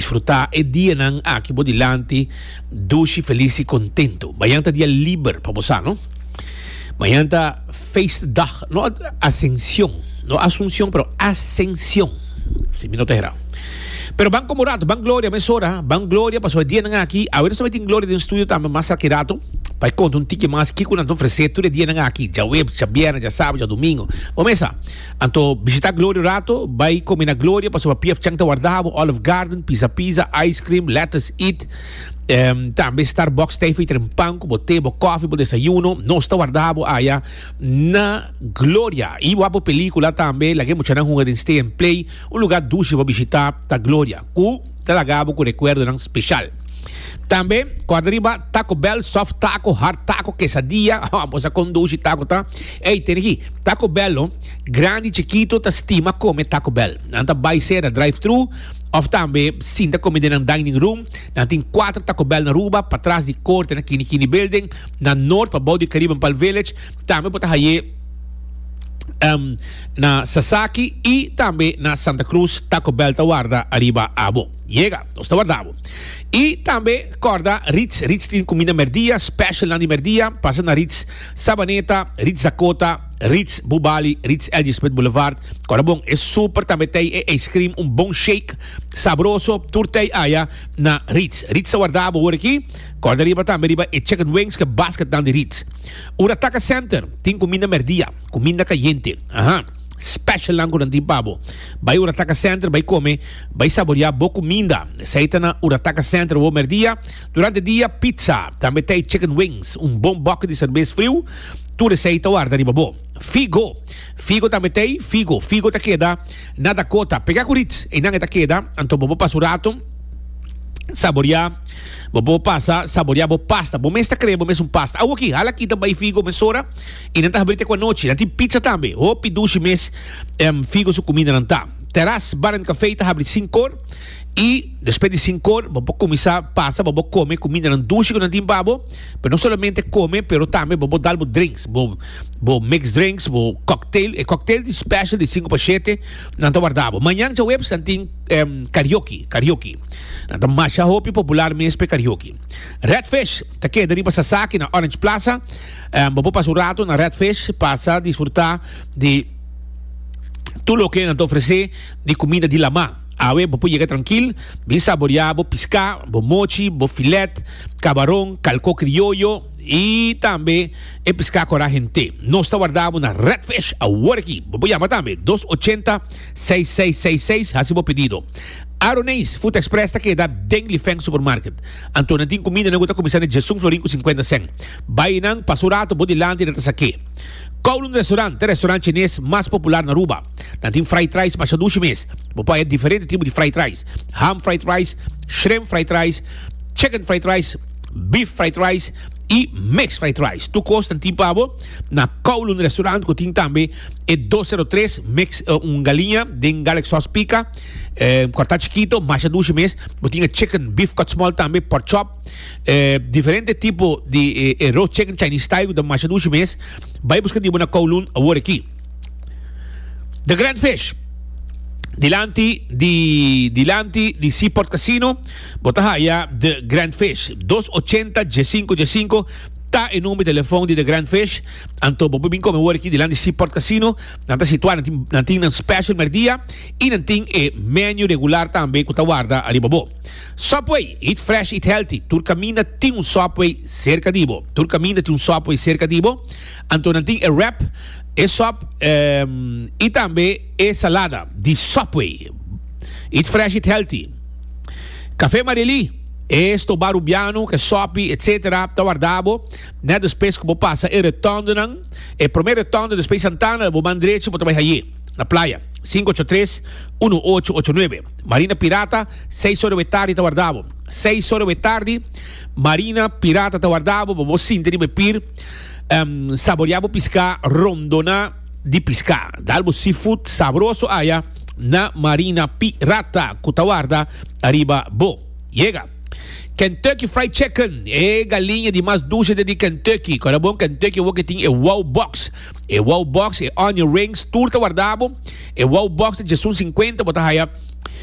Disfruta e dianan aki bo dilanti dushi, felis i kontentu. Mañan ta dia liber pa bo sa, no? Mañan ta feestdag, no Asension, no Asunsion, pero Asension, si mi no ta hera. Pero ban komo ratu, ban gloria mesora, ban gloria pasobra e dianan aki, awe nos ta mitin gloria den studio tambe mas aki ratu pa e konta un tiki mas kiko nan ta ofresé tur e dianan aki, djaweps, djabierna, djasabes, djadumingu. Bo mesa. Anto bishita Gloria un rato, bai komi na Gloria pasobra pfchang ta warda bo, Olive Garden, Pizza Pizza, Ice Cream, Lettuce Eat, em, tambe Starbucks ta e fitra en pan ku bo te, bo kofi, bo desayuno, nos ta warda bo aya na Gloria. I bo a bo pelikula tambe, laga e muchanan hunga den Stay and Play, un lugar dushi pa bishita ta Gloria ku. Ta laga bo cu recuerdonan special. Tambe corda riba Taco Bell soft taco, hard taco, quesadilla, oh ambos a conduci taco ta. Ey, tene ki Taco Bell lo, grandi, chikito ta stima come Taco Bell. Nan ta bay cera drive-thru of tambe sinta come den nan dining room. Nan tin cuater Taco Bell na Aruba, patras di Corte na Kini Kini Building, na Noord pabou di Caribbean Palm Village, Tambe bo ta haye na Sasaki y tambe na Santa Cruz Taco Bell ta warda ariba abo. Yega, nos ta warda bo. Y tambe corda Ritz, Ritz tin cuminda merdia, special nan di merdia, pasa na Ritz Sabaneta, Ritz Dakota, Ritz Bubali, Ritz LG Smith Boulevard. Corda bon, e super tambe tey e ice cream, un bon shake, sabroso, tur tey aya na Ritz. Ritz ta warda abo hoor aki. Corda riba tambe riba e chicken wings ke basket nan di Ritz. Ora taka senter tin kuminda merdia, kuminda kayente. Aha. Specialnan ku nan tin pa bo. Bai ora taka senter bai kome, bai saboriá bo kuminda. Esei ta na ora taka senter wou merdia. Durante dia pizza, tambe tei chicken wings, un bon bòkit di serbes friu, tur esei ta warda riba bo. Figo. Figo tambe tei, figo, figo ta keda na Dakota. Pega ku rits, einan e ta keda, anto bo bo pas un rato saboriá. Bo bo pasa saborea bo pasta. Bo mes ta crea bo mes un pasta. Awo aki, hala kita bay figo mesora y nan ta habri te cu anochi. Nan tin pizza tambe. Hopi dushi mes em figo su comida nan ta. Terras Bar and Café ta habri sinkor y despues di sinkor bo bo cuminsa pasa bo bo come comida nan dushi cu nan tin babo. Pero no solamente come pero tambe bo bo dal bo drinks. Bo bo mix drinks, bo cocktail. E cocktail tin special di cinco pa shete. Nan ta warda bo. Mañan djaweps nan tin em, karaoke, karaoke. Nan ta masha hopi popular mes pe karaoke. Redfish ta keda riba Sasaki na Orange Plaza. Em, bo por pasa un rato na Redfish, pasa disfruta di tur loke nan ta ofrece di kumida di lamá. Awe bo por yega trankil, bin saboreá bo piská, bo mochi, bo filet, kabaron, kalkó krioyo. I tambe e piská kora hent'é. Nos ta wardá bo na Redfish awor aki. Bo por yama tambe dos ochenta seis seis seis seis hasi bo pedido. Aroneis Food Express ta keda den Lifeng Supermarket. Anto nan tin kumindanan ku ta kuminsá na Jason Florin ku sinkuenta sèn. Bai enan, pasa un ratu bo dilanti i nan ta sa ke. Kowloon Restaurant ta restaurant chines mas popular na Aruba. Nan tin fried rice masha dushi mes. Bo por haya diferente tipo di fried rice, ham fried rice, shrimp fried rice, chicken fried rice. Beef fried rice y mixed fried rice. Tu cos ta tin pa bo na Kowloon Restaurant cu tin tambe e dos zero tres mix un galiña den garlic sauce pica corta chikito masha dushi mes. Bo tin e chicken beef cut small tambe pork chop diferente tipo di e roast chicken Chinese style cu ta masha dushi mes. Bay busca di bo na Kowloon awor aki. The Grand Fish dilanti di dilanti di Seaport Casino. Bo ta haya The Grand Fish. Dos ochenta dje sinku dje sinku ta e number di telefon di The Grand Fish. Anto bo por bin come worki dilan di Seaport Casino. Nan ta situa, nan tin nan special merdia y nan tin e menu regular tambe cu ta warda ariba bo. Subway, eat fresh, eat healthy. Tur caminda tin un Subway cerca di bo. Tur caminda tin un Subway cerca di bo. Anto nan tin e wrap, e sop y tambe e salada di Subway. Eat fresh, eat healthy. Café Marely, e stoba rubiano cu e sopi etc. Ta warda bo, net despues cu bo pasa e rotondenan, e prome rotonde despues Santana, bo man drecho bo ta bai haye, na playa, cinco ocho tres, uno ocho ocho nuebe. Marina Pirata, seis ora we tardi ta warda bo. Seis ora we tardi, Marina Pirata ta warda bo pa bo sinta riba e pir, em, saborea bo pisca, rondoná di pisca. Dal bo seafood sabroso aya. na Marina Pirata cu ta warda ariba bo. Yega. Kentucky Fried Chicken, e galiña di mas dulce den di Kentucky. Con a bon Kentucky awor ke tin e Wow Box. E Wow Box, e Onion Rings, tur ta warda bo. E Wow Box ta djesun sinkuenta, bo ta haya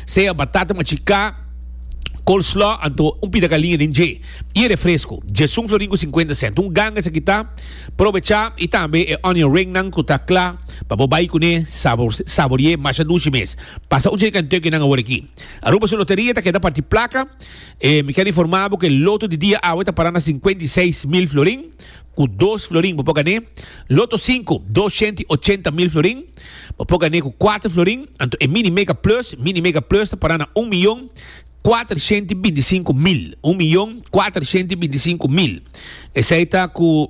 sea batata machicá, coleslaw, anto un pida galiña den dje. Y e refresco, djesun florin cu sinkuenta cent. Un ganga esaki ta. Probecha y tambe e onion ringnan cu ta cla pa bo bay cune saborié masha dushi mes. Pasa un cerca en Turkey nan awor aki. Aruba su loteria ta keda parti placa y mi kel informa bo cu e loto di dia awe ta para na cincuenta y seis mil florin. Cu dos florin bo por gané. Loto cinco, dosciento y ochenta mil florin. Bo por gané cu cuatro florin. Anto e mini mega plus, mini mega plus, ta para na un miyon. Kuatershent i binti sinku mil. Un miyon kuatershent i binti sinku mil. Esei ta ku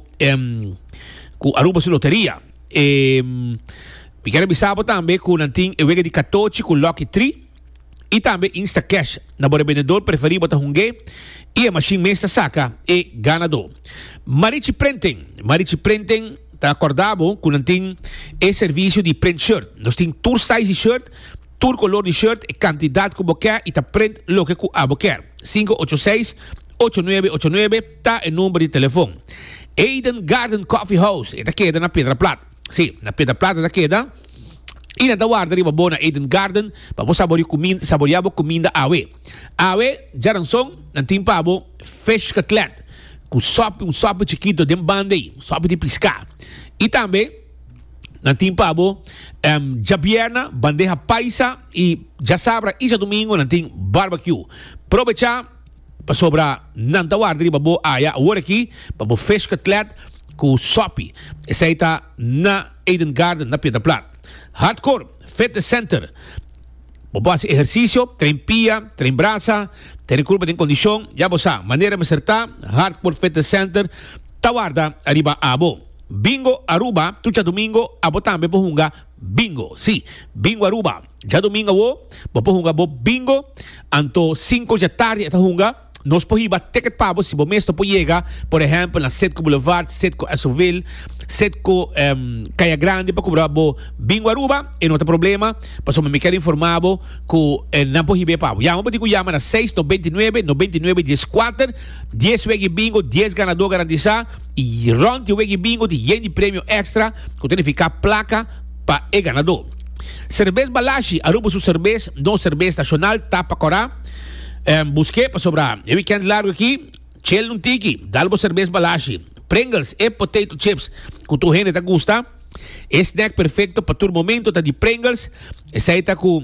ku Aruba su loteria. E mi ker a bisa bo tambe ku nan tin e wega di katochi ku Lucky Tri i tambe Instacash. Na bo rebendedor preferí bo ta hung'é i e mashin mes ta saka e ganadó. Marichi Prenten. Marichi Prenten ta kòrda bo ku nan tin e servisio di prent shirt. Nos tin tur size di shirt. Tur color di shirt e cantidad cu bo ke y ta print loke cu abo ker. Sinku ocho seis, ocho nuebe ocho nuebe ta e number di telefon. Eden Garden Coffee House e ta keda na Pedra Plat. Si, na Pedra Plat e ta keda y nan ta warda riba bo na Eden Garden pa bo saboriu saboria bo cuminda awe. Awe djaranson nan tin pa bo fish cutlet cu sopi, un sopi chikito den banda ey, un sopi di pisca y tambe. na tin pa bo djabièrna, bandeha paisa i djasabra isla dumingu nan tin barbecue. Probecha pasobra nan ta warda riba bo aya awor aki pa bo fish cutlet ku sopi. Esei ta na Eden Garden na Pieterplaat. Hardcore Fitness Center, bo por hasi ehersisio, train pia, train brasa, te di kurpa tin kondishon. Ya bo sa manera mester ta, Hardcore Fitness Center ta warda ariba abo. Bingo Aruba, Tu djadumingo abo tambe por hunga bingo? Sí, Bingo Aruba. Djadumingo awo bo por hunga bo bingo. Anto sinku dja tardi e ta hunga. Nos por hiba ticket pa bo si bo mes no por yega, por ehèmpel na Citgo Boulevard, Citgo Esoville, Citgo Kaya Grandi pa kubra bo Bingo Aruba. E no ta problema, pasobra mi kier informá bo ku nan por hib'é pa bo. Yama bo tin ku yama na seis no binti nuebe no binti nuebe dies kuater. Dies wega di bingo, dies ganadó garantisá. I rònt di weki bingo tin yen di premio èkstra ku ta nifiká plaka pa e ganadó. Serbes Balashi, Aruba su serbes, nos serbes nashonal ta pa kòrá. Busk'é pasobra e wikènt largu aki chel un tiki. Dal bo serbes Balashi, Pringles, e potato chips ku tur hende ta gusta. E snèk perfekto pa tur momentu ta di Pringles, esei ta ku.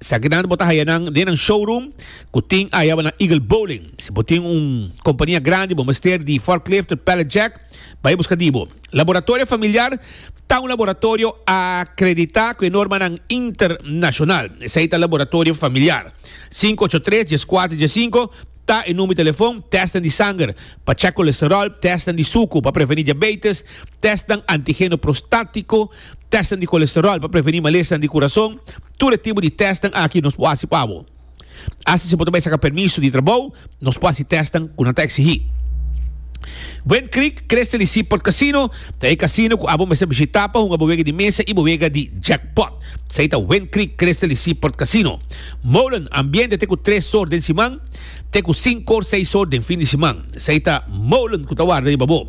Sakinan bo ta haya nan den nan showroom ku tin aya na Eagle Bowling. Si bo tin un kompania grandi bo mester di forklift tur pallet jack, bai buska di bo. Laboratorio Familiar ta un laboratorio akreditá ku e normanan internashonal. Esei ta Laboratorio Familiar. Sinku ocho tres, dies kuater, dies sinku ta e number telefon. Tèstnan di sanger pa chèk kolesteròl, tèstnan di suku pa prevení diabeites, tèstnan antigeno prostátiko, Testnan di kolesteròl pa prevení malesnan di kurason, Tur e tipo di testnan aki nos por hasi pa abo. Asta si bo ta bai saka permiso di trabou, nos por hasi testnan ku nan ta eksigí. Wind Creek Christian y Seaport Casino ta e casino ku abo mester bishitá pa hunga bo wega di mesa i bo wega di jackpot. Esei ta Wind Creek Christian y Seaport Casino. Molen Ambiente te ku tres sor den siman, te ku sinkor seis sor den fin di siman. Esei ta Molen ku ta warda riba bo.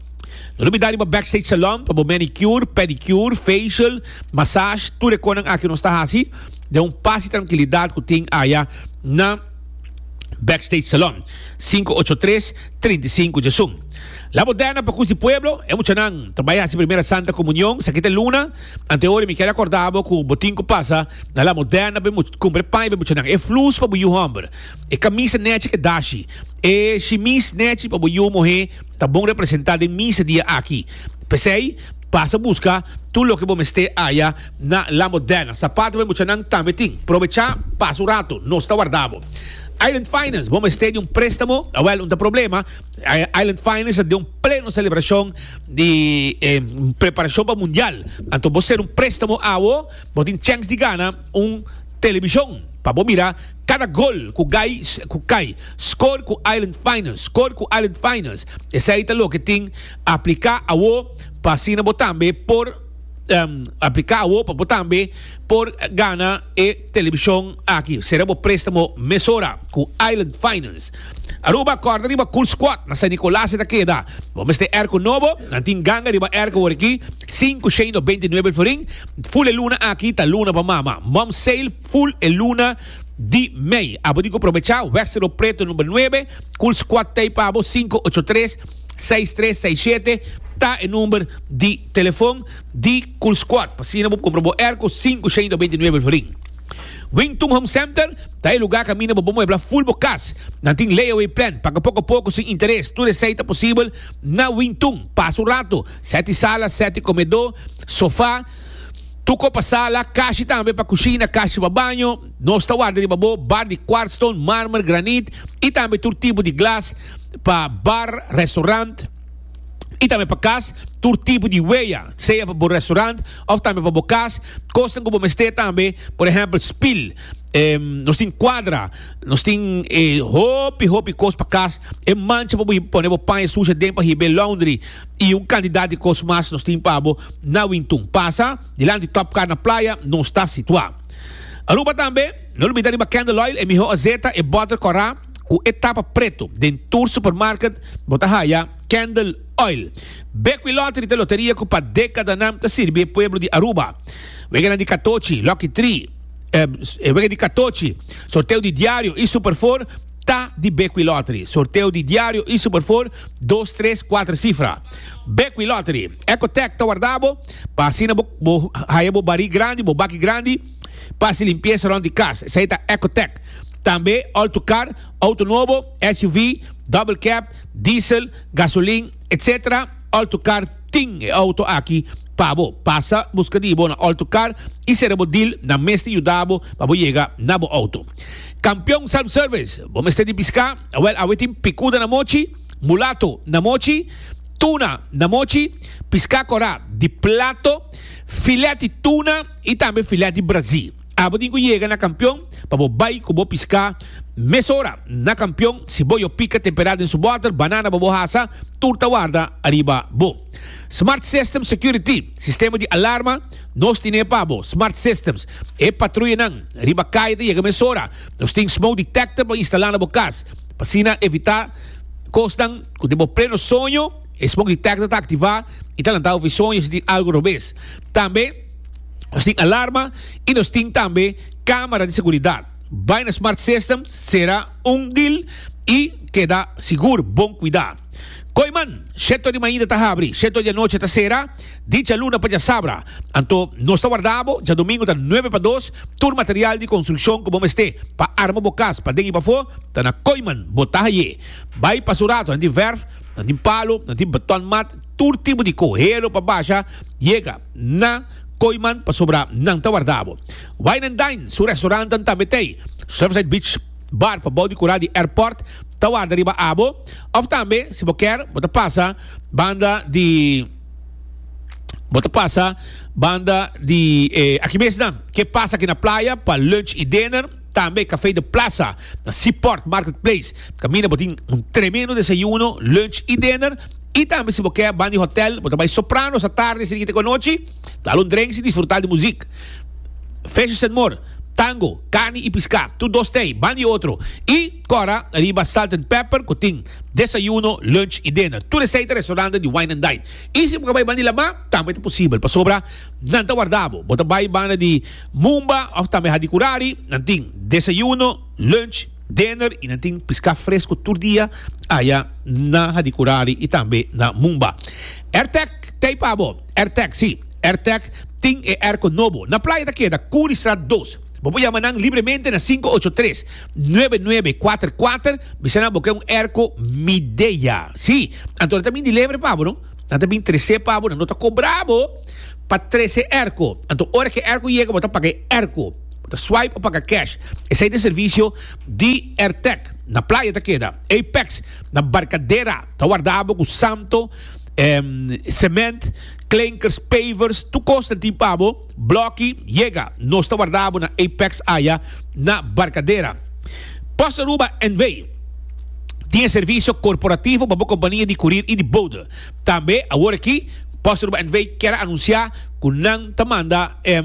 No lo bida riba Backstage Salon pa bo manicure, pedicure, facial, massage, tur e conan aki nos ta haci den un pas y trankilidad cu tin aya na Backstage Salon, sinku ocho tres, trinta i sinku Jasun. La Moderna pa Cus di Pueblo, e muchanan ta bay haci Primera Santa Comunion, esaki ta e luna, antehoren mi ker a corda bo cu bo tin cu pasa na La Moderna pa e cumpra e paña pa e muchanan, e flus pa bo yu homber, e camisa nechi cu e dashi, e shimis nechi pa bo yu muhe, ta bon representá den misa dia aki. P'esei, pasa buska tur loke bo mester haya na La Moderna. Sapato pa e muchanan tambe tin. Probechá pasa un ratu, nos ta warda bo. Island Finance, bo mester di un préstamo? Awèl, un ta problema. Island Finance ta den un pleno selebrashon di e preparashon pa mundial. Anto bo ser un préstamo awo, bo tin chèns di gana un telebishon pa bo mira. Kada gol ku Gais ku kai, score ku Island Finals, score ku Island Finals. Esei ta loke tin apliká awo pa asina bo tambe por apliká awo pa bo tambe por gana e telebishon aki. Sera bo préstamo mesora ku Island Finals. Aruba, kòrda riba Cool Squad na San Nicolas e ta keda. Bo mester èrko nobo, nan tin ganga riba èrko awor aki, sinku shei no beinti nuebe florin. Fule luna aki ta luna pa mama, Mom's Sale. Full e luna di mei. Abo tin cu probecha Westero Preto number nuebe, cul squad tey pa abo cinco ocho tres seis tres seis siete ta e number di telefon di cul squad pa asina bo compra bo airco cinco ciento veintinueve florin. Wington Home Center ta e lugar caminda bo por muebla full bo cas. Nan tin layaway plan, paga poco a poco sin interes. Tur esey ta posibel na Wington. Pasa un rato, seti sala, seti comedor, sofa. Tuko pa sala, kashi tambe pa kushina, kashi pa baño. Nos ta warda riba bo bar di kwartstone, marmer, granit i tambe tur tipo di glas pa bar, restorant i tambe pa kas. Tur tipo di weya, sea pa bo restorant òf tambe pa bo kas. Kosnan ku bo mester tambe, por ehèmpel spil. Nos tin kwadra, nos tin e hopi hopi kos pa kas. E mancha pa bo pone bo paña sushi aden pa hib'é laundry. i un kantidat di kos mas nos tin pa bo na Wintun. Pasa dilanti Top Car na Playa, nos ta situá Aruba tambe. No lubida riba Candle Oil e miho azeta, e bòter kòrá ku e tapa pretu. Den tur supermarket bo ta haya Candle Oil. Bekwí Lottery ta loteria ku pa dekadanan ta sirbi e pueblo di Aruba. Weganan di katochi, Lucky Three, e wega di katochi, sorteo di diario i Super Four, Ta di Bequi Lottery. Sorteo di diario iso por for dos tres cuatro cifra. Bequi Lottery. Ecotec ta warda bo pa asina bo bo haya bo bari grandi, bo baki grandi pa haci limpieza rond di cas. Esey ta Ecotec. Tambe Alto Car, auto nobo, SUV, double cab, diesel, gasolin, etc. Alto Car tin e auto aki pa bo. Pasa busca di bo na Alto Car y cera bo deal, nan mes ta yuda bo pa bo yega na bo auto. Kampion self-service, bo mester di piská? Awèl, awe tin pikuda na mochi, mulato na mochi, tuna na mochi, piská korá di plato, filèt di tuna i tambe filèt di brazí. Abo tin ku yega na Kampion pa bo bai ku bo piská mesora. Na Kampion, siboyo pika temperá den su bòter, banana pa bo hasa, tur ta warda ariba bo. Smart System Security, sistema di alarma, nos tine pa bo, Smart Systems. E patruyanan riba kaya ta yega mesora. Nos tin smoke detector pa instala na bo kas, pa asina evita kosnan ku den bo pleno soño e smoke detector ta aktivá i ta lanta ofi soño si tin algu robes. Tambe nos tin alarma i nos tin tambe kámara di seguridat. Bai na Smart System, sera un dil i keda sigur bon kuidá. Koiman, sheto di mainta ta habri, sheto di anochi ta sera, dicha luna pa djasabra. Anto, nos ta warda bo, djadomingu ta nuebe pa dos, tur material di construccion cu bo mester pa arma bo cas paden y pafo, ta na Koiman, bo ta haye. Bay pa su rato, nan tin verf, nan tin palo, nan tin beton mat, tur tipo di cohelo pa basha, yega na Koiman pasobra nan ta warda bo. Wine and Dine, su restaurantnan tambe tey. Surfside Beach Bar pabao di cura di Airport ta warda riba abo. Of tambe si bo kier bo ta pasa banda di bo ta pasa banda di e aki mes nan ke pasa aki na playa pa lunch y dinner tambe Café de Plaza na Seaport Market Place caminda bo tin un tremendo desayuno lunch y dinner y tambe si bo kier banda di hotel bo ta bay soprano sa tarde si te ku anochi dal un drinks y disfruta di muzik fishes and more tango carni y pisca tur dos te banda di otro y Cora, riba Salt and Pepper cu tin desayuno, lunch y dinner. Tur esey ta restaurantnan di wine and dine. Y si bo ka bay banda di Lama, tambe ta posibel pasobra nan ta warda bo. Bo ta bay banda di Mumba of tambe Hadi Kurari, nan tin desayuno, lunch, dinner y nan tin pisca fresco tur dia aya na Hadi Kurari y tambe na Mumba. Ertec ta ay pa bo. Ertec, si, Ertec tin e airco nobo. Na playa ta keda Curiestraat dos. Bo por yama nan libremente na sinku ocho tres, nuebe nuebe kuater kuater, bisa nan bo ke un erko Midea. Sí, anto nan ta bin deliver pa bo, no? Nan ta bin tres'é pa bo, nan no ta kobra bo pa tres'é erko. Anto ora ke erko yega, bo ta paga e erko. Bo ta swipe o paga cash. Esei ta e servisio di Airtec. Na playa ta keda. Apex, na Barcadera, ta warda bo ku santo, em, sement, klenkers, pavers, tur kos ta tin pa bo. Blokki yega, nos ta warda bo na Apex aya na Barkadera. Pos Aruba NV. tin e servisio korporativo pa bo kompania di kurir i di bode. Tambe awor aki Pos Aruba NV. kier a anunsiá ku nan ta manda e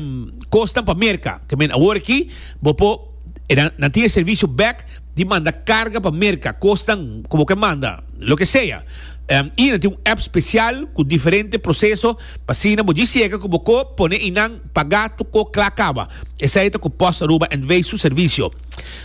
kosnan pa Merka. Ke men awor aki bo por nan tin e servisio bèk di manda karga pa Merka, kosnan ku bo ke manda, loke sea. I nan tin un app spesial ku diferente proseso Asina bo dje sega ku bo ko pone i nan pagá tur ko kla kaba. Esei ta ku Post Aruba en Wei su servisio.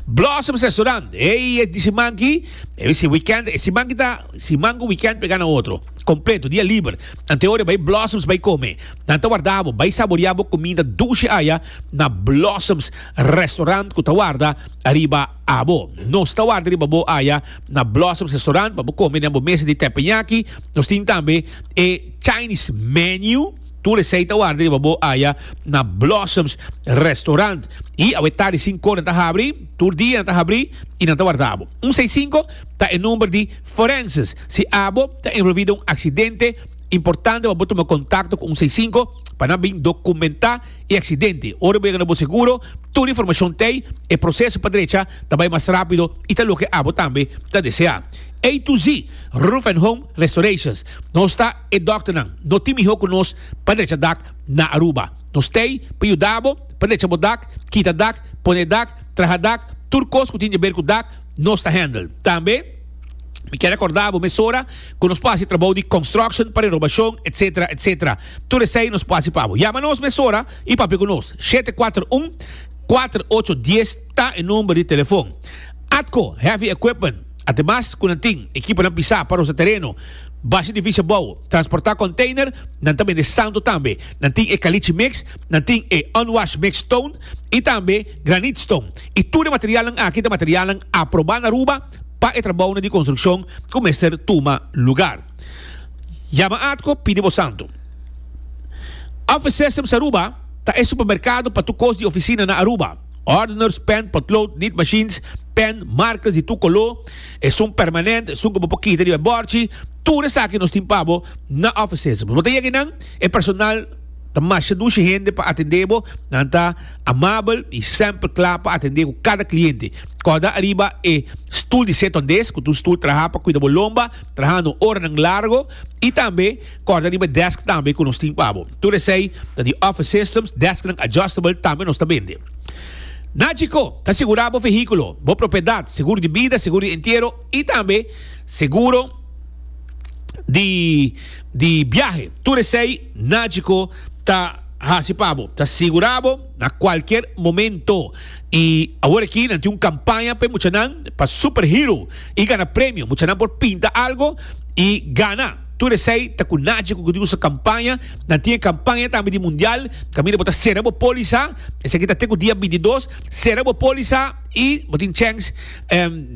Blossoms Restaurant, Ey e di siman ki, e bisin weekend, e siman ki ta siman ku weekend pegá na otro. Kompleto, dia liber. Antehoria bai Blossoms bai kome. Nan ta warda bo bai saboriá bo kuminda dushi aya na Blossoms Restaurant ku ta warda ariba. Abo, nos ta warda riba bo aya na Blossoms Restaurant pa bo kome den bo mesa di teppanyaki. Nos tin tambe e Chinese menu. Tur esei ta warda riba bo aya na Blossoms Restaurant. I awe tardi sinko nan ta habri, tur dia nan ta habri i nan ta warda abo. Un seis sinko ta e number di Forenses. Si abo ta envolvi den un aksidente, importante pa bo tuma kontakto ku un seis sinko pa nan bin dokumentá. e aksidente. Ora bo yega na bo seguro, tur informashon t'ei, e proseso pa drecha ta bai mas rápido i ta loke abo tambe ta deseá. A to Z Roof and Home Restorations, Nos ta e dòkternan, no tin mihó ku nos pa drecha dak na Aruba. Nos t'ei pa yuda bo pa drecha bo dak, kita dak, pone dak, traha dak, tur kos ku tin di ber ku dak, nos ta handle. Tambe. Mi ke rekorda bo mesora ku nos por hasi trabou di konstruksjon, pre-robashon, etsetera, etsetera. Tur esei nos por hasi pa bo. Yama nos mesora i papia ku nos. Shete kuater un, kuater ocho dies ta e number di telefon. Atco Heavy Equipment, ademas ku nan tin ekiponan pisá pa rosa tereno, basha di fisha bou, transportá konteiner, nan ta bende santo tambe. Nan tin e kalichi mix, nan tin e unwashed mix stone i tambe granit stone. I tur e materialnan aki ta materialnan aprobá na Aruba. pa e trabounan di konstrukshon ku mester tuma lugar. Yama atko pidi bo santu. Office Systems Aruba ta e supermerkado pa tur kos di ofisina na Aruba. Ordeners, pen, potlood, nit machines, pen, markers di tur koló, esun permanent, esun ku bo por kita riba e bòrchi, tur esaki nos tin pa bo na Office Systems. Bo ta yega einan, e personal ta masha dushi hende pa atendé bo, nan ta. Amabel i semper kla pa atendé ku kada kliente. Kòrda ariba e stul di setondés, ku ta un stul trahá pa kuida bo lomba trahando oranan largo, i tambe kòrda riba e dèsk tambe ku nos tin pa bo. Tur esei ta di Office Systems, dèsknan adjustable tambe nos ta bende. Nagico ta asegurá bo vehíkulo, bo propiedat, seguro di bida, seguro di entiero i tambe seguro di di biahe. Tur esei. Naci cu ta haci pa bo ta sigura bo na cualkier momento y awor aki nan tin un campaña p'e muchanan pa Super Hero y gana premio. Muchanan por pinta algo y gana. Tur esey ta cu Naci cu di nusu campaña. Nan tin e campaña tambe di Mundial. Caminda bo ta cera bo poliza, esey aki ta te cu dia bintidos, cera bo poliza y bo tin chance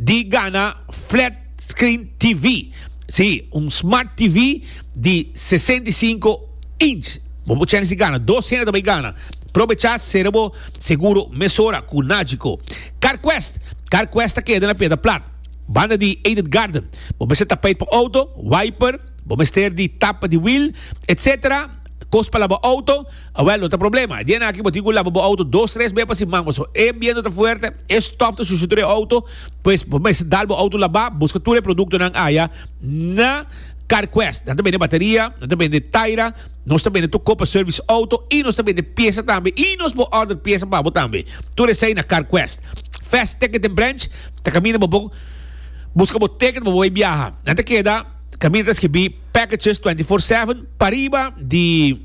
di gana flat screen TV. Si, un smart TV. di sesenta i sinku inch. Bo por chance di gana dos hende ta bay gana. Probecha sera bo seguro mesora ku Nagico. CarQuest, CarQuest ta keda na Piedra Plat, banda di Aided Garden. Bo mester tapeit pa outo, wiper, bo mester di tapa di wiel, etc. Kos pa laba outo, awel no ta problema. E dianaki bo tin ku laba bo outo dos tres bea pa siman, paso e biento ta fuerte, e stof ta shushi tur e outo, pues bo mester dal bo outo laba, buska tur e produktonan aya na. CarQuest, nan ta bende bateria, nan ta bende taira, nos ta bende tur kopa service auto y nos ta bende piesa tambe y nos por order piesa pa bo tambe. Tur esey na CarQuest. Fast Ticket den branch ta caminda pa bo busca bo ticket pa bo bay biaha. Nan ta keda caminda ta skibi Packages 24/7 pariba di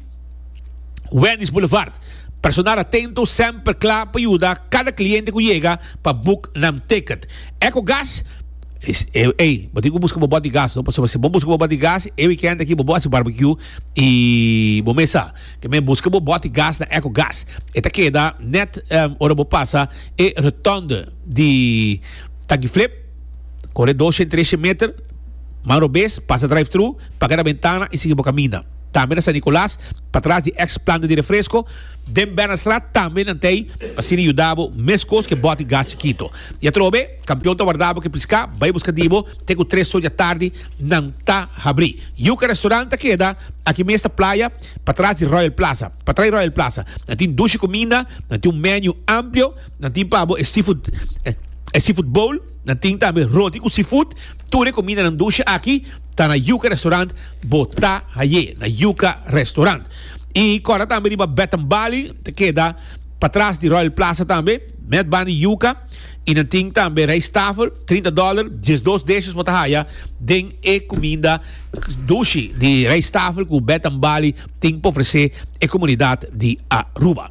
Wendy's Boulevard. Personal atento, semper cla pa yuda cada cliente cu yega pa book nan ticket. Ecogas. Ey, bo tin cu busca bo bot di gas, no? Pasobra si bo busca bo bot di gas, e weekend aki bo bo haci barbecue y bo mesa. Te mey busca bo bot di gas na Echo Gas. E ta keda net ora bo pasa e rotonde di Tanki Flip. Core doshe, treshe meter, man robes, pasa drive-thru, paga na bentana y sigui bo caminda. Tambe na San Nicolas, patras di ex planta di refresco, den Bernardstraat tambe nan t'ey asina yuda bo mescos cu e bot di gas chikito. Y atrobe. Campeon ta wardabo ke pisca, bay busca dibo te cu tres soja tardi nan ta habri. Yuca restaurant ta keda aki mes ta Playa, patras di Royal Plaza. Patrai Royal Plaza nan tin dushi cuminda, nan tin un menu amplio, nan tin pa bo e seafood e seafood bowl, nan tin tambe roti cu seafood. Tur e cuminda nan dushi aki ta na Yuca restaurant, bo ta haye na Yuca restaurant. Y cora tambe riba Bath and Bali ta keda patras di Royal Plaza tambe. Met bani yuca y nan tin tambe rijsttafel, trinta dollar, diesdos deshes bo ta haya den e cuminda dushi di rijsttafel cu Betambalie tin pa ofrece e comunidad di Aruba.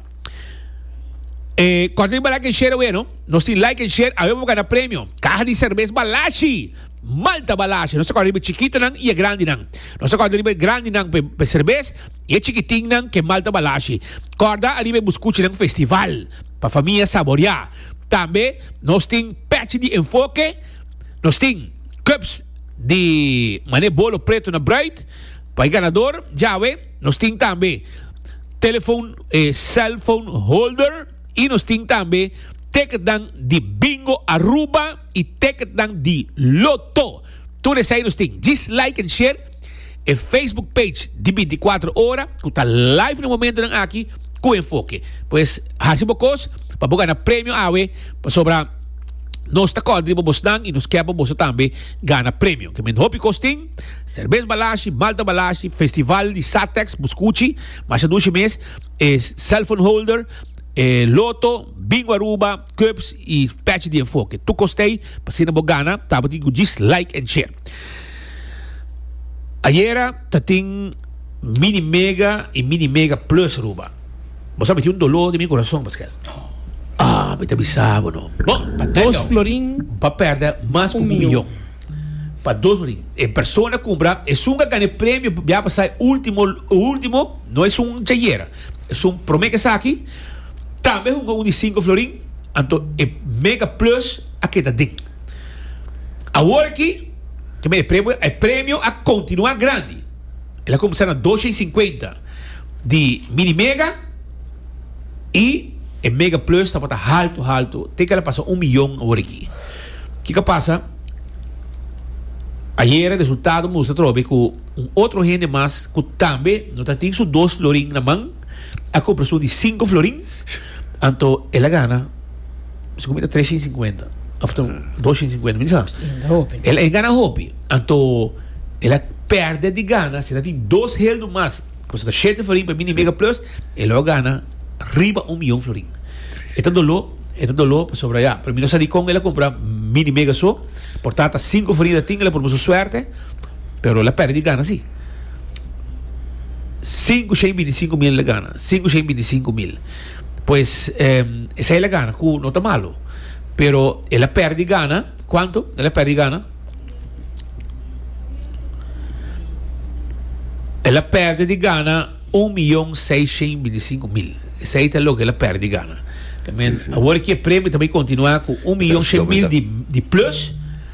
E Korting Balak en Share Aweno, nos tin like en share awe pa bo gana premio, caha di cervez Balashi! Malta Balashi! Nos ta corda riba e chikitonan y e grandinan. Nos ta corda riba e grandinan pa e cervez. I e chikitinnan ke mal ta balashi. Kòrda ariba e buskuchinan festival pa famia saboriá. Tambe nos tin pèchi di enfoke, nos tin cups di manera bolo preto na bruid pa e ganador djawe, nos tin tambe telefon e cellphone holder i nos tin tambe teketnan di Bingo Aruba i teketnan di Lotto. Tur esei nos tin. Djis like en share. E Facebook page di binticuatro ora cu ta live na momentonan aki cu enfoke. Pues haci bo cos pa bo gana premio awe pasobra nos ta kòrdri bo bosnan y nos ke pa boso tambe gana premio. Ke men hopi cos tin, Serbes Balashi, Malta Balashi, Festival di Satex, bo scuchi, masha dushi mes, e cellphone holder, e loto, Bingo Aruba, Cups y pech di enfoke. Tu costey pa asina bo gana tabatin cu djis like and share. Ayera ta tin mini mega y mini mega plus Aruba. Bo sa mi tin un dolor den mi corazon paskel ah mi ta bisa bo no. Bo pa dos florin bo perde mas cu un miyon pa dos florin e persona cumbra esun a gane premio bia pa sa e ultimo ultimo no esun dje ayera esun prome kesaki. Tambe hunga un di sinku florin, anto e Mega Plus a keda den. Awor aki, kimin e premio? E premio a kontinuá grandi. El a kuminsá na dosha i sinkuenta di Mini Mega i e Mega Plus tabata haltu haltu te ku el a pasa un miyon awor aki. Kiko a pasa? Ayera resultado mustra atrobe ku un otro hende mas ku tambe no ta tin su dos florin na man, a compra su di cinco florin anto el a gana su comida tres sin cincuenta of to dos sin cincuenta mi sa el en gana hopi anto el a perde di gana si tin dos hel no mas pues ta siete florin pa mini mega plus el a gana riba un millón florin eta dolor eta dolor pasobra ya pero mi no sa di con el a compra mini mega so por tata cinco florin ta tin el a proba su suerte pero el a perde di gana si Sinku shei binti sinku mil el a gana. Sinku shei binti sinku mil. Pues em, esei el a gana ku no ta malu. Pero el a perdi gana. Kuantu? El a perdi gana. El a perdi di gana un miyon seis shen binti sinku mil. Esei ta loke el a perdi gana. I mean, awor ki e premio ta bai kontinuá ku un miyon Atención, shen mil mira. di, di plus.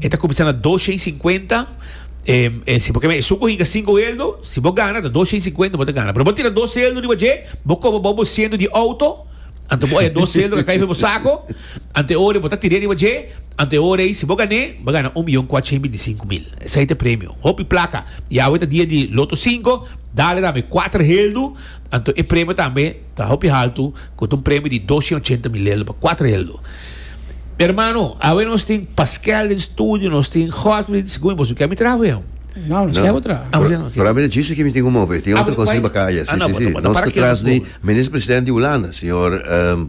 E ta kuminsá na dos shei i sinkuenta. Si bo keme e suko hinka sinku heldu, si bo gana ta dos shei i sinkuenta bo ta gana. Pero bo tira dos heldu riba dje, bo koba bou bo siento di outo, anto bo oya dos heldu a kai riba bo sako, anto e ora ei bo ta tir'é riba dje, anto e ora ei si bo gan'é, bo gana un miyon kuatsha i binti sinku mil. Esei ta e premio. Hopi plaka. I awe ta dia di loto sinko, dale tambe kuater heldu, anto e premio tambe. Ta hopi haltu cu ta un premio di dos cien ochenta mil eldo pa cuatro eldo. Mi hermano, awe nos tin Paskel den studio, nos tin Godfrey, segun mi boso kier mi traha cu hen. No, nos kier cu traha. Ah, bueno, ok. Para mi ta djisti ki mi tin ku move. E tin Ah, otro bueno, kosa riba guai. kaya. Ah, Si, no, si, pa si. topa, ta Nos para ta kier tras nos di tur. minister president di Hulanda, señor ehm,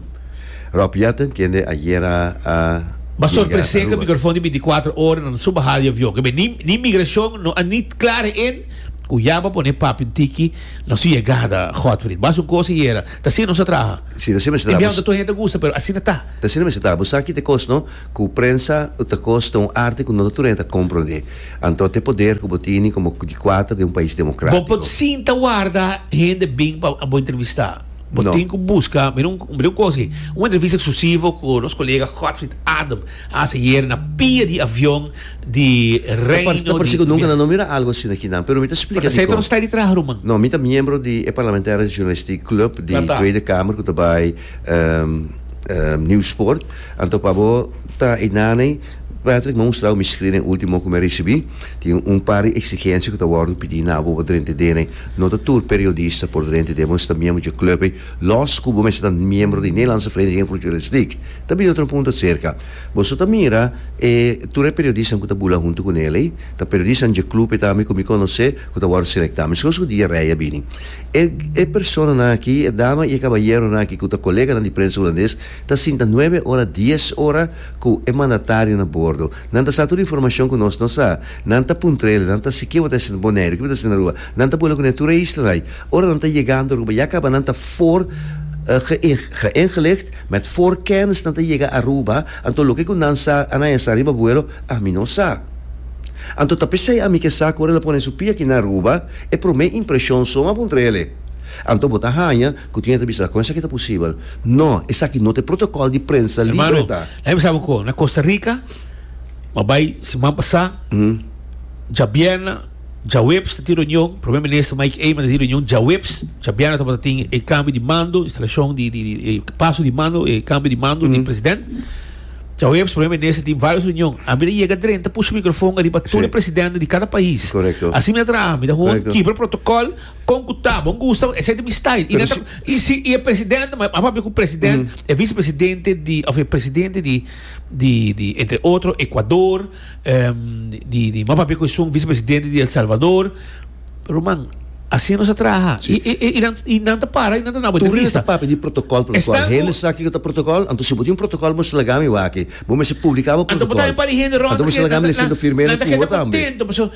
Rob Jetten, kende ayera a Ba yega sorprese ke Aruba. microfon di binticuatro ora nan su bahal di avion. Ke be, ni, ni migracion no a ni clara en cu ya ba pone papi un tiki Na su yegada, Godfried. Ba su cos ayera. Ta asina nos a traha. Si, ta asina mester traha. Y biahu ta tur hende a gusta, pero asina ta. Ta asina mester traha. Bo sa ki ta cos, no? Cu prensa ta cos den un arte cu no ta tur hende ta comprende. Anto te poder cu bo tini como di cuater den un pais democratico. Bo por sinta warda hende bin pa bo entrevista. Bo tin cu busca. Mira un, mira un cos aki. Un entrevista exclusivo cu nos colega Godfried Adem a haci ayer na pia di avion. di Reino di. Ta parsi ku nunka nan no mira algu asina aki nan, pero mi ta splika dikon. Pero esei ta un stay di traha ruman. No, mi ta miembro di e parlamentario di journalistiek club di Tweede Kamer ku ta bai Nieuwsport. Anto pa bo ta einan ei, Patrick, mi a mustra bo mi skrin ei ultimo ku mi a risibí. Tin un par di eksigensia ku ta wòrdu pidi na bo pa drenta den ei. No ta tur periodista por drenta den. Bo mester ta miembro dje club ei, lòs ku bo mester ta miembro di Nederlandse Vereniging voor Journalistiek. Ta bini otro un punto aserka. Boso ta mira e tur e periodisnan ku ta bula huntu ku Nel ei? Ta periodisnan dje klub ei tambe ku mi konosé ku ta wòrdu selektá. Meskos ku Dia Rey a bini. E e personanan aki, e dama i e kabayeronan aki ku ta koleganan di prensa hulandes ta sinta nuebe ora, dies ora ku e mandatarionan a bordo. Nan ta sa tur e informashon ku nos no sa. Nan ta puntrele, nan ta si kiba ta hasiendo Boneiru, kiba ta hasiendo Aruba. Nan ta bula ku ne tur e islanan ei. Ora nan ta yega anto Aruba ya kaba nan ta for geïn, geïngelicht. Met for kèns nan ta yega Aruba, anto loke ku nan sa a nan esa riba buelo, ami no sa. Anto ta p'esei ami ke sa ku ora el a pone su pia aki na Aruba, e promé impreshon so a puntra ele, Anto bo ta haña ku tin e ta bisa, Kon esaki ta posibel? No, esaki no ta e protokòl di prensa libre ta. Hermano, laimi bisa bo algu. Na Costa Rica, bo a bai siman pasá, djabièrna, Djaweps ta tin reunion, Prome Minister Mike Eman ta tin reunion djaweps, djabièrnè tabata tin e kambio di mando, instalashon di di di e paso di mando, e kambio di mando di president. Djaweps Prome Minister tin vários reunion. Ami ta yega dren ta pusha mikrofon ariba tur e Sí. presidente di kada pais. Correcto. Así mi ta traha, mi ta gewoon Correcto. kibra protocol kon ku ta, bon gusta, bon, esei ta mi style. I Pero nan ta, si- i si i e presidente, ma a papia ku president, e vicepresidente di òf e presidente di di di entre otro Ecuador, di m'a papia cu esun vicepresidente di El Salvador. Ruman, asina nos a traha. Si. I, i, i, nan, i nan ta para, i nan ta daba Tur entrevista. esnan ta papia di protocol por lo cual Esnan cu- hende sa kiko ta protocol. Anto si bo tin un protocol bo slaga mi wak aki. Bo mester publica bo Anto bo ta protocol. biba di hende rond Anto bo aki, slaga mi nan, nan, diciendo firme nan ta recuo keda tambe. contento, pasobra.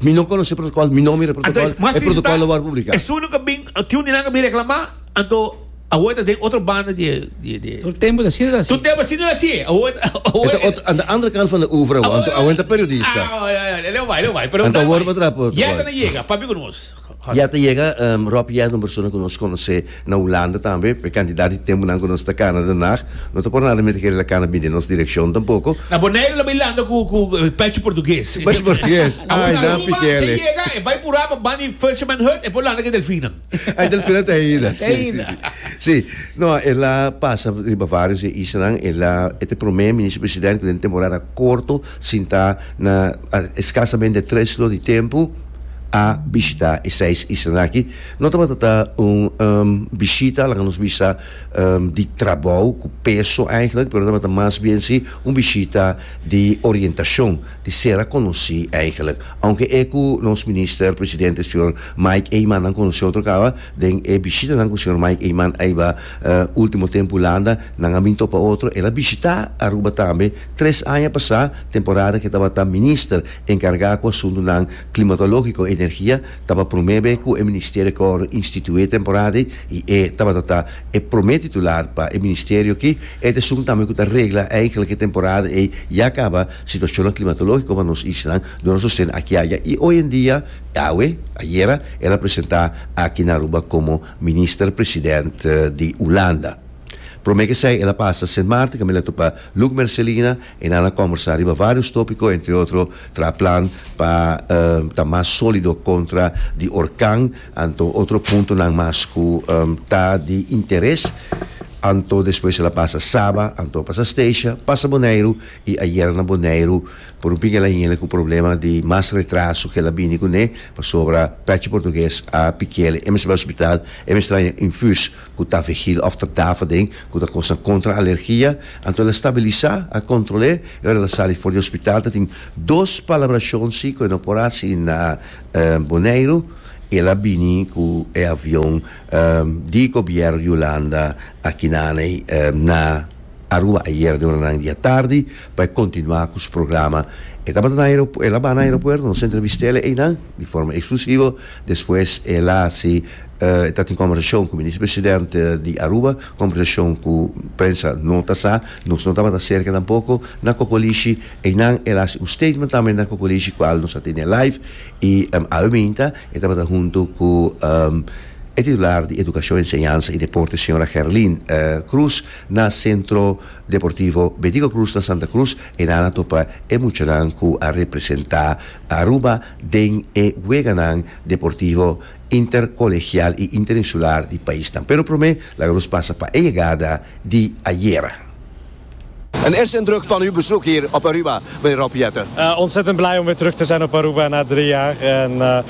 Mi no conoce protocol, mi no mira protocol, e protocol lo word publica. Es uno que bin, tin un di nan que bin reclama, anto awo ta den otro banda di di Tur tempo ta sido ta así. Tur tempo sido ta así. Awo awo Eta ot, anta andere kant van de oeuvre awo, anto awo enta periodista. Ah, ja ja ja, leu bai, leu bai, pero Anta word betrap. Yeta na yega, papi con nos. Ya ta yega ròp yèrt un persona ku nos konosé na Hulanda tambe. E kantidat di tempunan ku nos ta kana Den Haag, no ta por nada mester kere el a kana bini nos direkshon tampoko. Na Boneiru el a bai landa ku pèchi portugues. Ku pèchi portugues. Awor na Aruba si e yega e bai purá pa bani Fisherman Hut, e por landa ku e delfinnan. Ah, e delfinnan ta ainda. Ta ainda. Sí, no, el a pasa riba vários e islanan. El a, e ta e promé minister presidente ku den temporada korto Sinta na eskasamente tres lo di tempu a bishita e seis islanan aki. No tabata ta un bishita, laga nos bisa, di trabou cu peso eigenlijk, pero tabata mas bien si un bishita di orientacion, di ser a conoci eigenlijk. Aunke e cu nos Minister Presidente, señor Mike Eman, nan conoci otro caba, den e bishitanan cu señor Mike Eman a hiba, Ultimo tempu Hulanda nan a bin topa otro. El a bishitá Aruba tambe tres aña pasá, temporada ke tabata minister enkargá ku asuntunan klimatológiko i energia. Taba promé be ku e ministerio a kòrdu institué temporada ei i e tabata ta e promé titular pa e ministerio aki. E ta esun tambe ku ta regla enkele ke temporada ei ya kaba situashonnan klimatológiko pa nos islanan. Duna sosten akia ya i oyendia, awe, ayera, el a presentá aki na Aruba komo Minister President di Hulanda. Prome kesei el a pasa Sint Maarten kaminda el a tupa Luc Mercelina y nan a combersa riba varios topico entre otro traha plan pa ta mas solido contra di orkan anto otro puntonan mas cu ta di interes anto despues el a pasa Saba anto a pasa Statia pasa Boneiru I ayer na Boneiru por un pinga el a hini ku problema di mas retraso ku el a bini kuné pasobra pèchi portugues a pikiel e mester bai hospital e mester traña infus ku tavegil òf ta dafaden ku ta kosnan kontra alergia anto el a stabilisá a kontrol'é i ora el a sali for di hospital ta tin dos palabrashon si ku e no por hasi na Boneiru i el a bini ku e avion di gobièrnu di Hulanda aki nan'e na. Aruba ayer di oranan di atardi pa e kontinuá ku su programa. E tabata na aeropuerto, el a baha na aeropuerto, nos a entrevist'é el einan di forma eksklusivo. Despues el a hasi, e ta tin kòmbersashon ku Minister President di Aruba, kòmbersashon ku prensa no ta sa, nos no tabata serka tampoko na kokolishi. Einan el a hasi un statement tambe na kokolishi kual nos a tene live i awe binta e tabata huntu ku e titular di Edukashon, Enseñansa i Deporte señora Gerlin Croes. Na Centro Deportivo Bedigo Cruz na Santa Cruz e nan a topa e muchanan cu a representa Aruba den e weganan deportivo intercolegial y interinsular di paisnan. Pero prome laga nos pasa pa e yegada di ayera. En eerste indruk van uw bezoek hier op Aruba, meneer Rob Jetten? Ontzettend blij om weer terug te zijn op Aruba na drie jaar en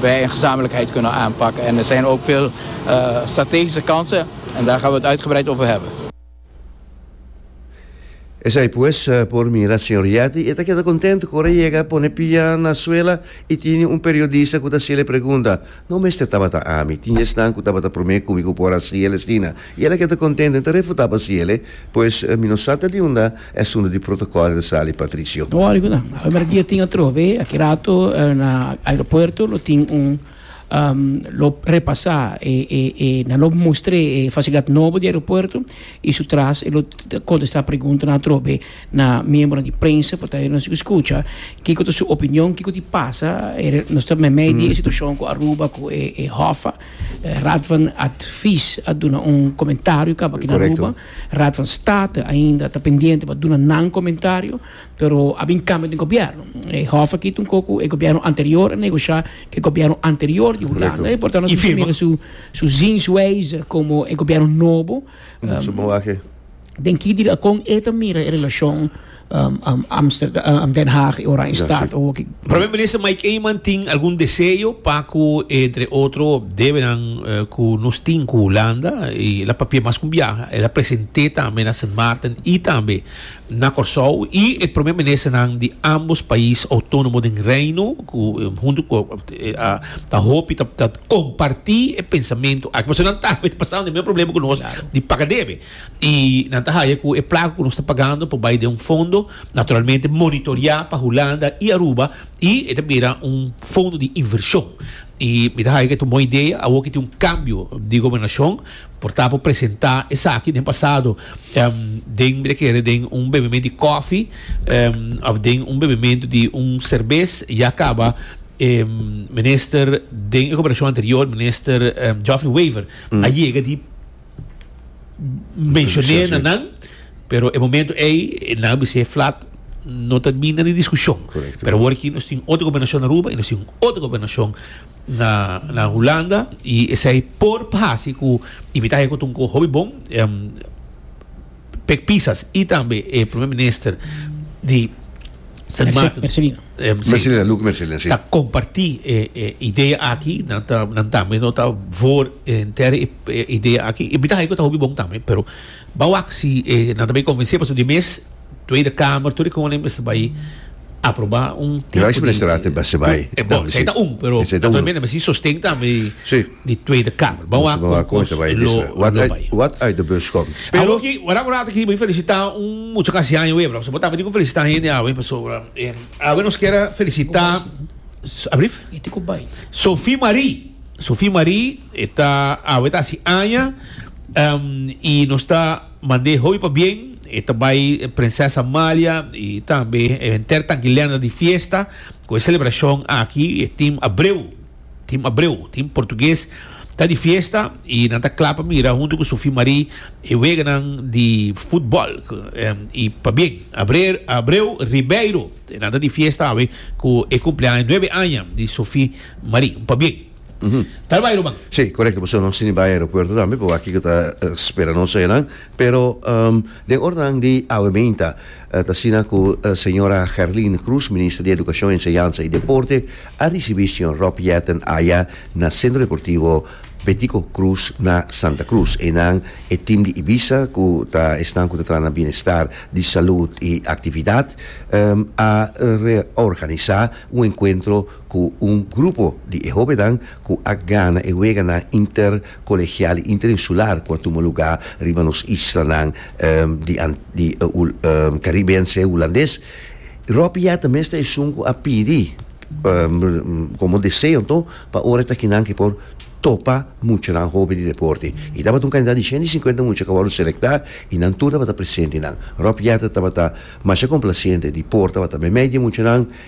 Wij in gezamenlijkheid kunnen aanpakken en er zijn ook veel strategische kansen en daar gaan we het uitgebreid over hebben. Esei pues, por mira señor Yati e ta keda content cu ora yega pone pia na suela y tine un periodista cu ta haciel e pregunta, no mester tabata ami, tin yesnan cu tabata prome cu mi cu por haciel esina, Y el a keda contento, y ta refuta pa si ele, Pues, mi no sa ta di unda esuntu di protocol el sali, Patricio. No wori cu nan. A primer dia tin atrobe, aki rato na aeropuerto lo tin un lo repasa e e e nan lo mustre e facilidad nobo di aeropuerto y su tras e lo contesta preguntanan atrobe na miembronan di prensa por ta e nos scucha kico ta su opinion kico tin pasa nos ta meimei di e situacion cu Aruba cu e e hof. Raad van Advies a duna un comentario caba ki na Aruba. Raad van State ainda ta pendiente pa duna nan comentario, pero a bin cambio den gobierno. E hof aki ta un coco, e gobierno anterior a negocia cu e gobierno anterior di Hulanda, y por tanto nos tin mira su zienswijze como e gobierno nobo, den ki direcon e ta mira e relacion. um, um, Amsterdam, uh, um, Den Haag y Oranjestad. Ja, sí. Primer minister Mike Eman tin algun deseo pa cu entre otro debenan uh, cu nos tin cu Holanda y la papia mas cum viaja. Él a presenté también na Sint Maarten y también na Curaçao y e primer minister nan di ambos país autónomo den reino cu um, junto cu eh, a, ta hopi ta, ta compartí e pensamento. Aquí, pero nan también pasando el mismo problema cu nos claro. di paga debe. I nan ta haña ku e plaka ku nos ta pagando por bai den un fondo, naturalmente monitoriá pa Hulanda i Aruba, i e ta bira un fondo di invershon. I mi ta haña ku e ta un bon idea awor ku e tin un kambio di gobernashon, por ta por presentá esaki den pasado den, mi ta kere den un bebementu di kòfi òf den un bebementu di un serbes. Ya kaba e minister den e gobernashon anterior, Minister Geoffrey Wever, a yega di. mencion'é na nan pero e momento ey nan a bis'é flat no ta binda di discusion pero awor aki nos tin otro gobernacion na Aruba y nos tin otro gobernacion na Hulanda y esey por hasi cu y mi ta ha'i cu ta un cosa hopi bon. Pek pisas i tambe e Primer Minister di Sint Maarten. Mercelina, Luc Mercelina, si. Ta kompartí e idea aki, nan ta, nan tambe no ta for entero e idea aki. I mi ta haña ku ta hopi bon tambe, pero ban wak si nan ta bai konvensé pasobra di mes Tweede Kamer, tur e konen mester bai aprobá un tipo di. Rijksministeraat mester bai. Bon, esei ta un, pero nan ta mester mester si sosten tambe di. di Tweede Kamer. Bo a kon kos lo bai. Wat uit de bus kom. Pero ki ora ku rato aki bo felisita un mucha kasi aña webra pasobra bo ta bini ku felisita hende awe pasobra awe nos kere felisita Abrif? Sophie Marie Sophie Marie e ta awe ta hasi aña i nos ta mande hopi pabien e ta bai Prinses Amalia i tambe henter tanki lenda di fiesta ku e selebrashon aki e tin Abreu. Tin Abreu, tin Portugues. Ta di fiesta y nan ta cla pa mira hunto cu Sofie Marie e weganan di futbol. Y pabien, Abreu Ribeiro. Nan ta di fiesta awe cu e cumpleaño nuebe aña di Sofie Marie. Un pabien. Ta al bai Roman? Sí, corecto. Pasobra nos tin di bai aeropuerto tambe, pero aki cu ta spera nos enan. Pero. Den ornan di awemeynta, ta asina ku señora Gerline Croes, Minister di Edukashon, Enseñansa i Deporte, a risibí señor Rob Jetten aya na Sentro Deportivo Betico Croes na Santa Cruz. Einan e tim di Ibiza ku ta esnan ku ta traha na bienestar di salud i aktividat, a reorganisá un enkuentro ku un grupo di e hóbennan ku a gana e weganan inter. Colegial Interinsular cu a tuma lugar riba nos islanan di Caribe Anse Hulandes. Rob Yatta mester esun cu a pidi como deseo anto pa ora e ta kinan ki por topa muchanan hoben di deporte. Y tabata un cantidad di ciento y cincuenta mucha cu a wordo selecta y nan tur tabata presente nan. Rob Yatta tabata masha complaciente di por tabata meimei di e muchanan.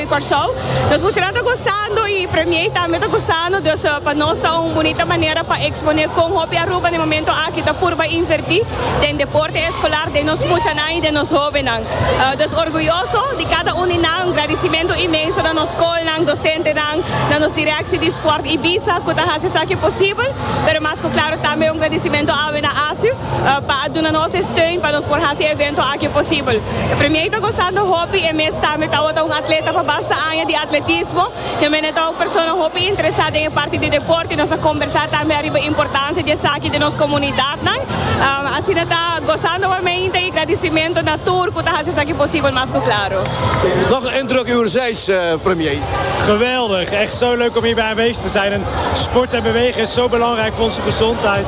di Kòrsou. Nos muchanan ta gosando i Premier tambe ta gosando, dus pa nos ta un bunita manera pa eksponé kon hopi Aruba den momentu aki ta purba invertí den deporte eskolar den nos muchanan i den nos hóbennan. Nos orguyoso di kada un di nan. Un gradisimentu inmenso na nos skolnan, dosentenan, na nos direkshi di sport Ibiza ku ta hasi esaki posibel, pero mas ku klaru tambe un gradisimentu awe na ASUH. pa a duna nos e steun pa nos por hasi e evento aki posibel. E premier ta gosando hopi e mes tambe tawata un atleta pa basta aña di atletismo. Hemen e ta un persona hopi interesá den e parti di deporte. Nos a kombersá tambe ariba importansia di esaki den nos komunidatnan. Asina ta gosando por meinta i gradisimentu na tur ku ta hasi esaki posibel mas ku klaro. Nog een indruk uwerzeits, premier? Geweldig, echt zo leuk om hierbij aanwezig te zijn en sport en bewegen is zo belangrijk voor onze gezondheid.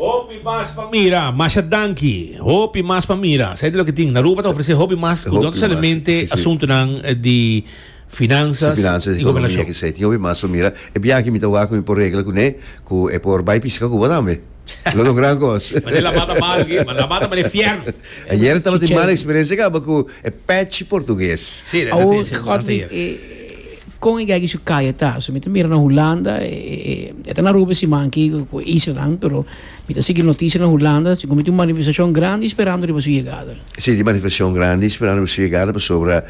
Hopi mas pa mira, masha danki. Hopi mas pa mira. Sa e ta loke tin. Aruba ta ofresé hopi mas ku don salimente asuntunan di finanzas i gobernashon. Tin hopi mas pa mira. E biaha mi ta wak ku mi por regla kuné ku e por bai piska Cuba tambe. Lo no gran kos. Mane lama ta mal aki. Lama ta mane fiern. Ayer tabata e mala eksperensia kaba ku e patch portugues. Si, nan ta e. Kon e geiger su kaya ta? So mi ta mira na Hulanda e ta na Aruba e siman aki ku e islanan pero mi ta sigui noticia na Hulanda segun mi tin un manifestashon grandi sperando riba su yegada. Si tin manifestashon grandi sperando riba su yegada pasobra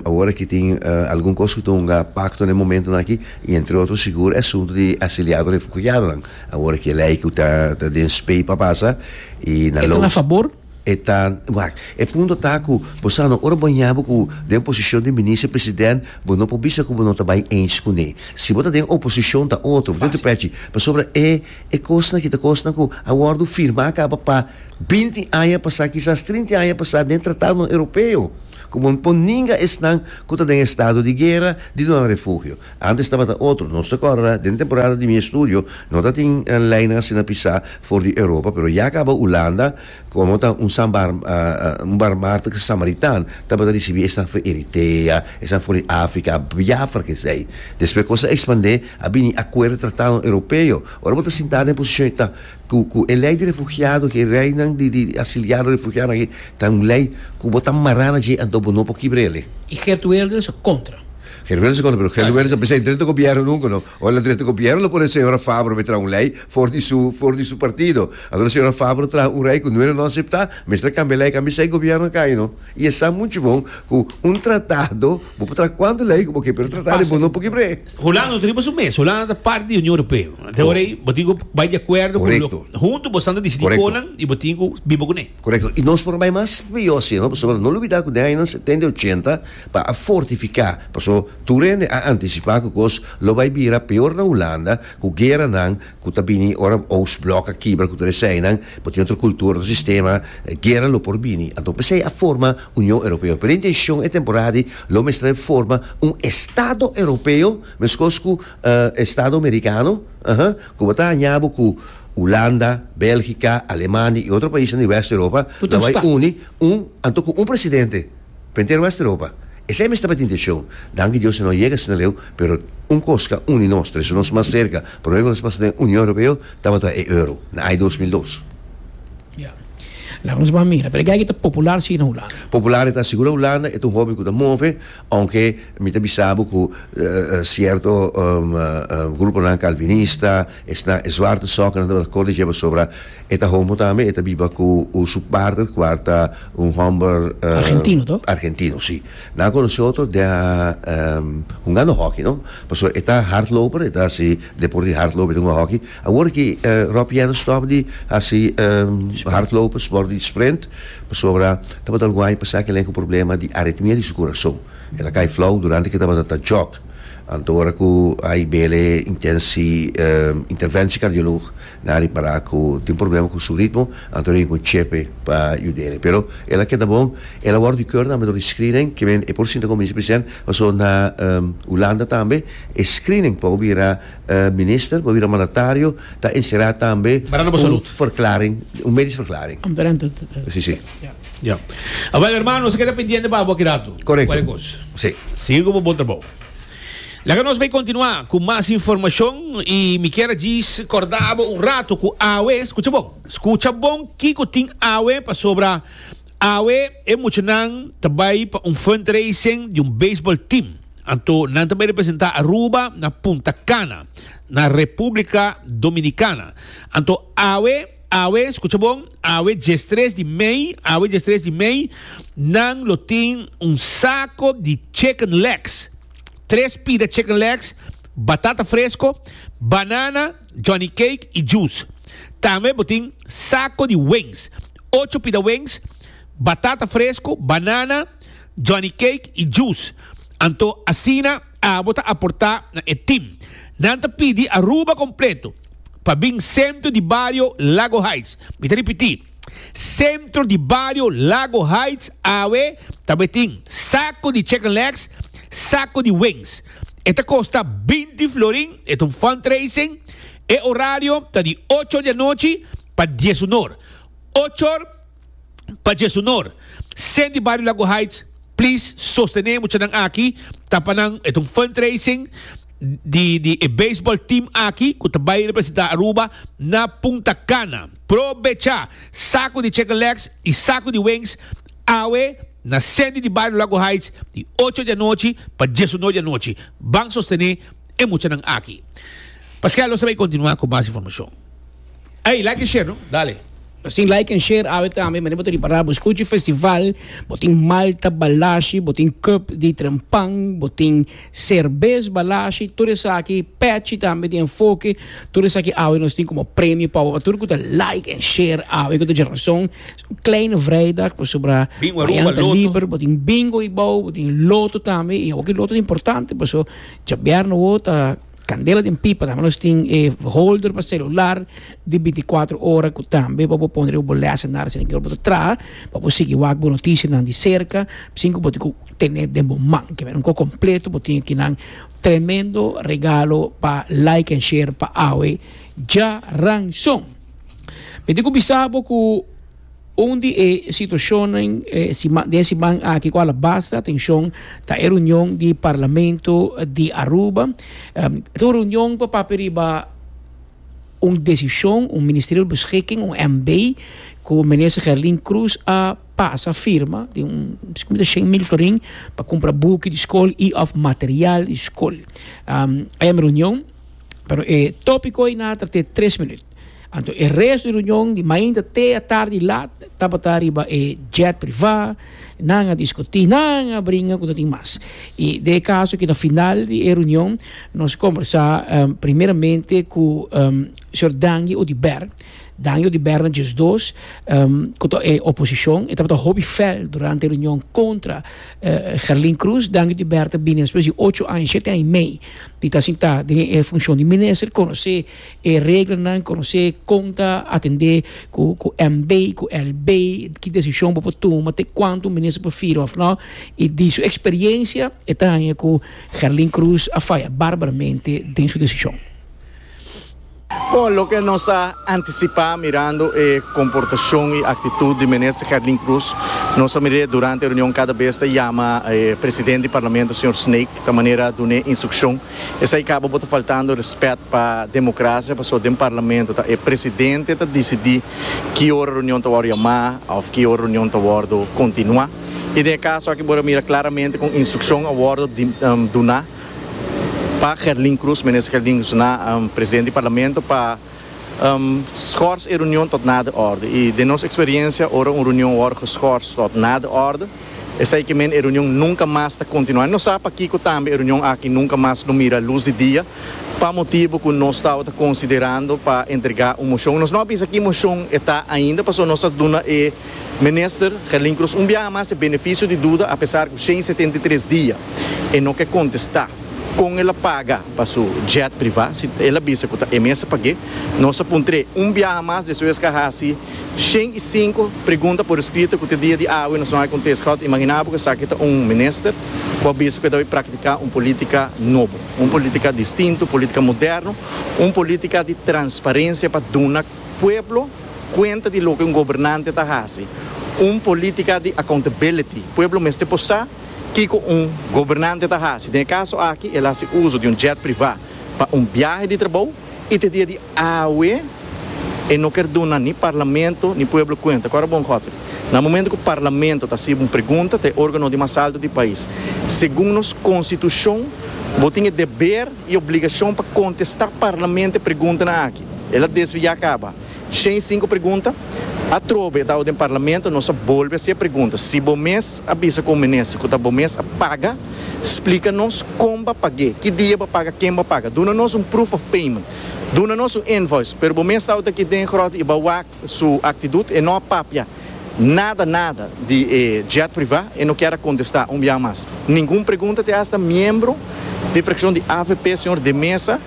awor aki tin algun kos ku ta hunga pakto na e momentunan aki i entre otro sigur e asuntu di asiliado refugiadonan awor aki e lei ku ta den spei pa pasa i na loos. E ta na fabor? E ta, wak, e punto ta ku bo sa no ora bo ña bo ku den posishon di minister president bo no por bisa ku bo no ta bai eens kuné. Si bo ta den oposishon ta otro, bo tin tu pèchi. Pasobra e e kosnan aki ta kosnan ku a wòrdu firmá kaba pa binti aña pasá, kisas trinti aña pasá den tratadonan europeo ku bo por ninga esnan ku ta den estado di guera di duna refugio. Antes tabata otro. Nos ta kòrdá den temporada di mi estudio no ta tin leinan asina pisá for di Europa, pero ya kaba Hulanda komo ta un sambar un barmart ke samaritan tabata risibí esnan for Eritea, esnan for di Afrika, a biafra ku esei. Despues kos a ekspandé a bini akuerdo tratado Europeo. Ora bo ta sintá den posishon e ta ku ku e lei di refugiado aki, e leinan di di asiliado refugianan aki ta un lei ku bo ta mará na dje anto bo no por kibr'e ale. I Geert Wilders a kontra. Geluwense kono pero Geluwense a bisa e dreto gobièrnu nunke no ora el a dreto gobièrnu lo pone señora Fabro me traha un lei for di su for di su partido anto señora Fabro traha un rei ku noera no aseptá mester a kambia lei a kambia seis gobièrnu a kai no i e sa muchu bon ku un tratado bo por traha kuantu lei ku bo ke pero tratado e bon no por kebr'é. Hulanda no ta riba su mes Hulanda ta parti di Union Europeo te ora ei bo tin ku bai di akuerdo ku lo huntu boso nan ta disití konan i bo tin ku biba kuné. Korekto. I nos por a bai mas biyo si, no? Pasobra no lubidá ku den añanan setenta i ochenta pa a fortifiká, paso tur hende a antisipá ku kos lo bai bira peor na Hulanda ku gueranan ku ta bini ora Oostblok a kibra ku tur eseinan bo tin otro kultura, otro sistema, guera lo por bini. Anto p'esei a forma Union Europeo. Pero e intenshon e temporada di lo mestra e forma un estado europeo, meskos ku estado merikano, ahan, ku bo ta haña bo ku. Hulanda, Belgica, Alemania y otro paisnan di West Europa lo bay uni un anto cu un presidente pa henter West Europa. Esey mester pa ta intencion. Danki Dios e no yega asina leu, pero un cos ca uni nos, ta hasi nos mas cerca. Prome cu nos pasa den Union Europeo tabata e euro, na ay dos mil dos. Ya. Laga nos ban mira. Pero e geiga ta popular si na Hulanda? Popular e ta sigur na Hulanda. E ta un hoben cu ta move, aunke mi ta bisa bo cu cierto gruponan calvinista, Esnan e zwarte sòknan tabata kòrda dje pasobra e ta homo tambe, e ta biba ku su partner kua ta un hòmber Argentino to? argentino, si. Nan a konosé otro den hungando hòki, no? Pasobra e ta hardloper, e ta hasi deport di hardlopen, e ta hunga hòki. Awor ki Rob Piana stòp di hasi hardlopen, sport di sprint, pasobra tabata algun aña pasá ku e lei ku problema di aritmia di su kurason. E ta kai flou durante ku e tabata ta jòg. Anto ora ku ai bele intensi intervensi kardiolog nan a repará ku tin problema ku su ritmo anto ora yu kon chepe pa yud'e pero el a keda bon el a wòrdu di kèr tambe dor di screening ke men e por sinta kominsa p'esèn pasobra na Hulanda tambe e screening pa bira minister pa bira mandatario ta enserá tambe un verklaring un medisch verklaring. Ya. Awel hermano, se keda pendiente pa abo kirato. Correcto. Cuale cos. Sí. Sigue con bo bon trabao. Laga nos bay continua cu mas informacion y mi kier ajis corda abo un rato cu awe, scucha bon, scucha bon kico tin awe pasobra awe e muchanan ta bay pa un fundraising di un baseball team. Anto nan ta bay representa Aruba na Punta Cana, na Republica Dominicana. Anto awe Awe, skucha bon, awe diestres di mei, awe diestres di mei, nan lo tin un sako di chicken legs, tres pida chicken legs, batata fresko, banana, Johnny Cake i juice. Tambe bo tin sako di wings, ocho pida wings, batata fresko, banana, Johnny Cake i juice. Anto asina Abo ta aportá na e tim. Nan ta pidi Aruba kompleto pa bin sentro di bario Lago Heights. Mi ta ripití, sentro di bario Lago Heights awe ta bo e tin sako di chicken legs, sako di wings. E ta kosta binti florin, e ta un fundraising. E orario ta di ocho di anochi pa dies unor. Ochor. pa dje su nor. Sent di Bario Lago Heights please sostené e muchanan aki ta pa nan e ta un fundraising di di e baseball team aki cu ta bay representa Aruba na Punta Cana. Probecha saco di chicken legs y saco di wings awe na Sent di Bario Lago Heights di ocho di anochi pa dje su nor di anochi. Ban sostené e muchanan aki. Pasquel lo sa bay continua cu mas informacion. Ey like en share no dale. Nos tin like en share awe tambe manera bo ta ripara bo skuchi festival bo tin malta balashi bo tin cup di trempan bo tin serbes balashi tur esaki pechi tambe di enfoke tur esaki awe nos tin como premio pa bo pa tur cu ta like en share awe cu ta djeranson es un kleine vrijdag pasobra Bingo Aruba mañana ta loto. liber bo tin bingo hibou bo tin loto tambe y awo ki loto ta importante paso djabièrnè awo ta Candela den pipa tambe nos tin e holder pa celular di binticuatro ora cu tambe pa bo pone riba bo lessenaar si bo ta traha pa bo sigui wak bo noticianan di cerca sin cu bo tin cu tene den bo man kiba un cosa completo bo tin aki nan tremendo regalo pa like and share pa awe djaranson mi tin cu bisa bo cu. Un di e situashonnan den e siman aki ku al a basta atenshon ta e runion di Parlamento di Aruba. Ta un runion ku a papia riba un desishon, un ministerial beschikking, un MB, ku Minister Gerlin Croes a pasa firma den un biscu mi ta shen mil florin pa kumpra buki di skol i òf material di skol. Ayan mi runion, pero e topiko ei nan a trate tres minüt. Anto e resto di reunion di mainta te atardi laat tabata riba e jet privá, nan a discutí, nan a bringa cu no tin mas. Y den e caso cu na final di e reunion nos conversá primeramente cu señor Dangi Odiber, Dangi Odiber na djes dos cu ta e oposicion, e tabata hopi fel durante e reunion contra Gerlin Croes, Dangi Odiber ta bini despues di ocho aña, shete aña y mei di ta sintá den e funcion di minister, conocé. E reglanan conoce con ta atende cu cu MB y cu LB, ki decision bo por tuma, te cuanto un minister por fira of no, y di su experiencia e ta haña cu Gerlin Cruz a faya barbaramente den su decision. Bon, loke nos ta anticipa mirando e comportacion y actitud di minister Gerlin Cruz, nos a mira durante e reunion cada bes ta yama e president di Parlamento señor Snake ta manera dun'e instruccion, Esei caba bo ta faltando respet pa democracia pasobra den parlamento ta e presidente ta dicidi ki ora reunion ta wordo yama of ki ora reunion ta wordo continua y den e caso aki bo ta mira claramente cu instruccion a wordo duna pa Gerlin Cruz, minister Gerlin Cruz na presidente di parlamento pa Schors e reunion tot na de orde. I den nos experiencia ora un reunion wor geschors tot na de orde, esei ke men e reunion nunca mas ta continua. Nos sa pakico tambe e reunion aki nunca mas lo mira luz di dia, pa motibo cu nos tabata considerando pa entrega un motion. Nos no a bisa ki motion e ta ainda, pasobra nos a duna e Minister Gerlin Croes un biaha mas e beneficio di duda, apesar cu shen setenta i tres dia e no ke contesta. Kon el a paga pa su jet privá si el a bisa ku ta e mes a pag'é? Nos a puntr'é un biaha mas despues es ka hasi shen i sinku pregunta por eskrito ku te dia di awe nos no a kontesta. Kòrda imaginá bo ku esaki ta un minister ku a bisa ku e ta bai praktiká un polítika nobo, un polítika distinto, un polítika moderno, un polítika di transparensia pa duna pueblo kuenta di loke un gobernante ta hasi, un polítika di accountability. Pueblo mester por sa. Kiko un gobernante ta hasi? Den e kaso aki el a hasi uso di un jet privá pa un biahe di trabou i te dia di awe e no ker duna ni parlamento ni pueblo kuenta. Kòrda bon Godfrey, na momentu ku parlamento ta hasiba un pregunta ta e órgano di mas altu di e pais, segun nos konstitushon bo tin e deber i obligashon pa kontestá parlamento e preguntanan aki. El a desviá kaba. Shen sinku pregunta. Atrobe tau den parlamento nos a bolbe haci e pregunta. Si bo mes a bisa cu minister cu ta bo mes a paga, splica nos con ba page, ki dia ba paga, ken ba paga. Duna nos un proof of payment. Duna nos un invoice. Pero bo mes tau ta aki den grot y ba wak su actidut e no a papia. nada nada di e jet privá e no kier a kontestá un biaha mas ningun pregunta te asta miembro di frakshon di avp señor De Meza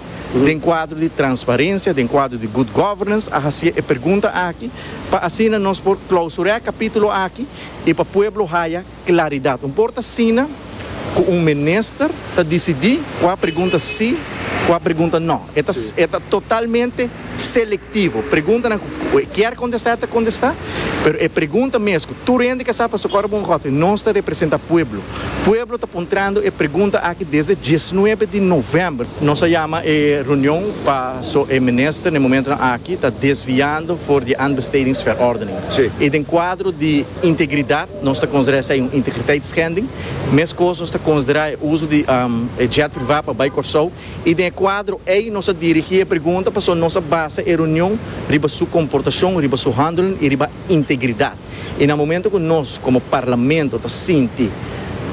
den kuadro di transparensia den kuadro di good governance a hasié e pregunta aki pa asina nos por klausur'é kapítulo aki i pa pueblo haya Claridad. Un por ta asina cu un minister ta dicidi cua pregunta si, cua pregunta no. E ta e ta totalmente selectivo. Preguntanan cu cu e kier contesta e ta contesta, pero e pregunta mes cu tur hende ke sa paso Coro Bongotwe nos ta representa pueblo. Pueblo ta puntrando e pregunta aki desde diesnuebe di november. Nos a yama e reunion paso e minister na e momentonan aki ta desviando for di e aanbestedingsverordening. Si. Y den cuadro di integridad Nos ta considera esey un integriteitschending. Mescos nos ta considera e uso di e jet priva pa bay Corsou y den e cuadro ey nos a dirigi e pregunta pasobra nos a basa e reunion riba su comportacion, riba su handelen y riba integridad. Y na momento cu nos como Parlamento ta sinti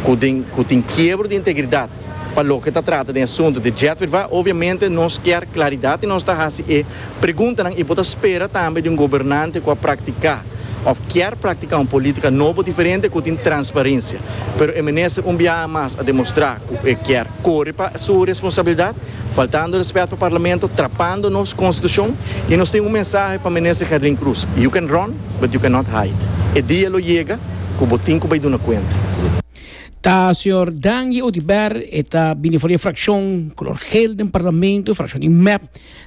cu tin quiebro di integridad Pa loke ta trata den asuntu di JETWIRVA, obiamente nos kier klaridat i nos ta hasi e preguntanan, i bo ta spera tambe di un gobernante ku a praktiká òf kier praktiká un polítika nobo diferente ku tin transparensia. Pero e minister un biaha mas a demostrá ku e kier kore pa su responsabilidat, faltando rèspèt pa Parlamento, trapando nos Konstitushon. I nos tin un mensahe pa minister Gerlin Cruz, You can run, but you cannot hide. E dia lo yega ku bo tin ku bai duna kuenta. Ta señor Danje Oduber, e ta bini for di e frakshon kolor gel den parlamento, frakshon di mep,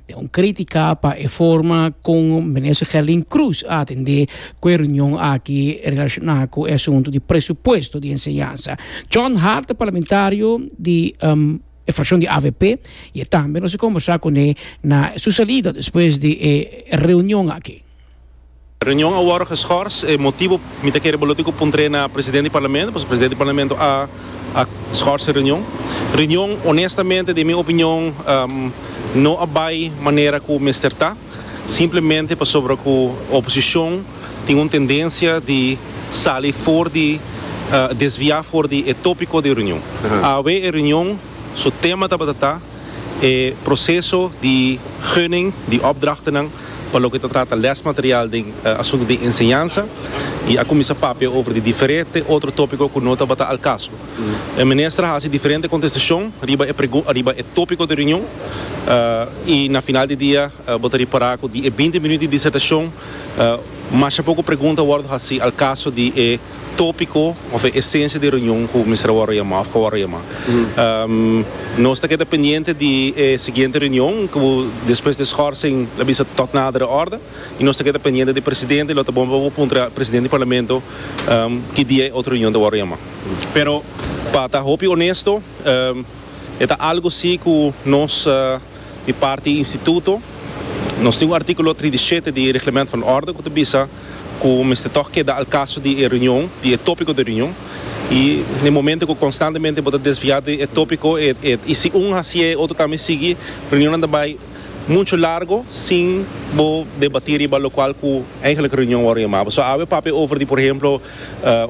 den un kritika pa e forma kon Minister Gerlin Croes a atendé ku e reunion aki relashoná ku e asuntu di presupuesto di enseñansa. John Hart ta parlamentario di e frakshon di avp i e tambe nos a kombersá kuné na su salida despues di e reunion aki. Reunion a wòrdu geschors. E motibu mi ta kere bo lo tin ku puntr'é na presidente di parlamento, pasobra presidente di parlamento a a schors e reunion. Reunion honestamente den mi opinion no a bai manera ku mester ta, simplemente pasobra ku oposishon tin un tendensia di sali for di desviá for di e topiko di reunion. Awe e reunion su tema tabata ta e proseso di gunning di opdrachtenan pa loke ta trata lèsmaterial den asuntu di enseñansa i a kuminsá papia over di diferete otro tópiko ku no tabata al kaso. E minister a hasi diferente kontestashon riba e riba e tópiko di reunion i na final di dia bo ta ripará ku di e binti minut di disertashon masha poko pregunta a wòrdu hasi al kaso di e tópiko òf e esensia di reunion ku mester a wòrdu yamá òf ku a wòrdu yamá. Nos ta keda pendiente di e siguiente reunion ku despues di e skòrsing la bisa tòg nader e òrdu i nos ta keda pendiente di e presidente i lo ta bon pa bo puntra presidente di parlamento ki dia e otro reunion ta wòrdu yamá. Pero pa ta hopi onesto e ta algu si ku nos. Di parti instituto nos tin un artíkulo trinta i shete di e Reglemento van Orde ku ta bisa ku mester tòg keda al kaso di e reunion, di e tópiko di reunion. I den momento ku konstantemente bo ta desviá di e tópiko e i si un hasié e otro tambe sigui, reunionnan ta bai muchu largo sin bo debatí riba lokual ku eigelik reunion wòrdu yamá. So awe papia over di por ehemplo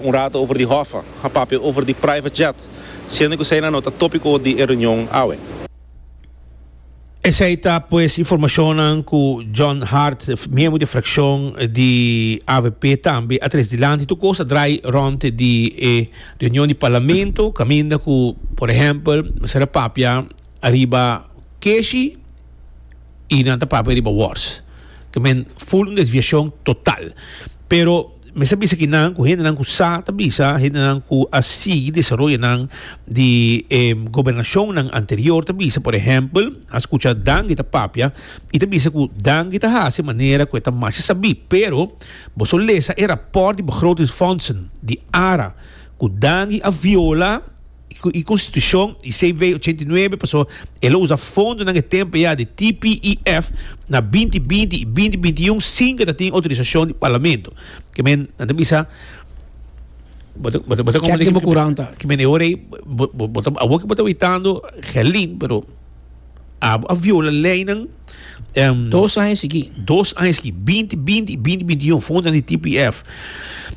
un rato over di hòfè, a papia over di private jet, siendo ku eseinan no ta tópiko di e reunion awe. Esei ta pues informacionnan cu John Hart, miembro di fraccion di avp tambe a tres dilanti. Tur cos a draai rond di e reunion di Parlamento caminda cu, por ehempel, mester a papia ariba keshi. y nan ta papia riba wars ke men full un desviacion total pero mester bisa aki nan ku hendenan ku sa ta bisa hendenan ku a sigui desaroyonan di e gobernacionnan anterior ta bisa por ehempel a skucha Dangi ta papia y ta bisa ku Dangi ta hasi manera ku e ta masha sabi pero boso lesa e raport di begrotingsfondsen di ara ku Dangi a viola y constitucion y CW ochenta y nuebe paso el a usa fondonan e tempo eya di TPEF na binti binti y binti binti y un sin ke ta tin autorisacion di Parlamento ke men nan ta bisa bo ta bo ta bo ta Check di bo kuranta. ke men e ora ei bo bo bo ta awor ke bo ta witando Gelin pero. a viola leinan. Um, dos aña seguí. Dos aña seguí. 20, 20 y 20, 21 fondan di TPF.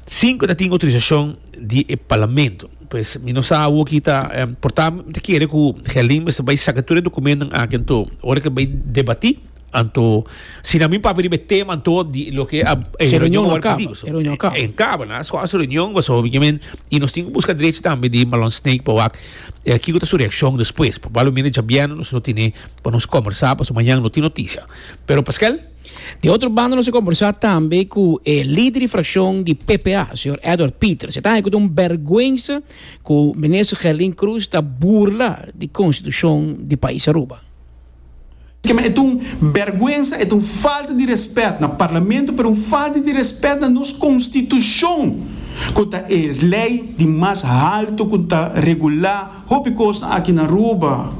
Cinco ta tin autorizacion di e parlamento. Pues, mi no sa awo ki ta, um, porta, te kere ku Gelin mester bai saka tur e dokumento aki, ento, ora ke bai debati, Anto, si nan mi papia riba e tema, anto di loke a e Se reunion reunion wòrdu akaba, puntibu. So, e reunion akaba. en kaba, nan scoha su reunion, boso hopi kimen, i nos tin ku buska drechi tambe di Malon Snake pa wak eh, kiko ta su reakshon despues. Probablemente djabièrnè nos lo tene pa nos kòmbersá, paso mañan no tin noticia. Pero Paskel? Di otro banda nos a kombersá tambe ku e lider di frakshon di PPA, señor Edward Pieter. Se ta haña ku ta un bèrgwensa ku Minister Gerlin Cruz ta burla di konstitushon di pais Aruba. Kema et un berguensa, et un falta di respet na Parlamento, pero un falta di respet na nos Constitucion, cu ta e ley di mas halto cu ta regula hopi cosnan aki na Aruba.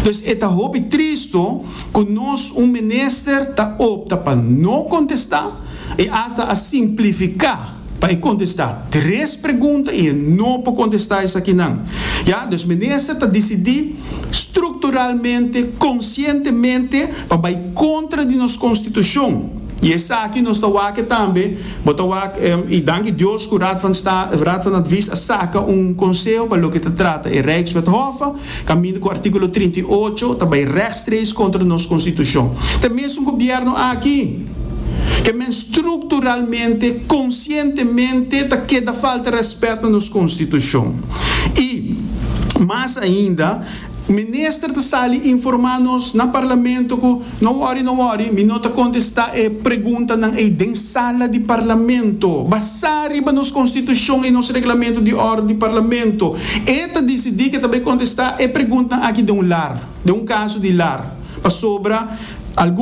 Dus e ta hopi tristo cu nos un minister ta opta pa no contesta y hasta a simplifica. pa e kontestá tres pregunta i e no por kontestá esakinan. Ya, dus minister ta disidí strukturalmente, konsientemente pa bai kontra di nos konstitushon i esaki nos ta wak tambe, bo ta wak i danki Dios ku Raad van Sta, Raad van Advies a saka un konseho pa loke ta trata e Rijkswet Hof. Kaminda ku artíkulo trinta i ocho ta bai rèkstreeks kontra nos konstitushon. Te mesun gobièrnu aki, ke men strukturalmente, konsientemente ta keda falta rèspèt na nos konstitushon. I mas ainda, Minister ta sali informá nos na Parlamento ku, No wòri, no wòri, mi no ta kontestá e preguntanan ei den sala di parlamento. Basá riba nos konstitushon i nos reglamentu di òrdu di parlamento, e ta disidí ke ta bai kontestá e preguntnan aki den un lar, den un kaso di lar, pasobra algun.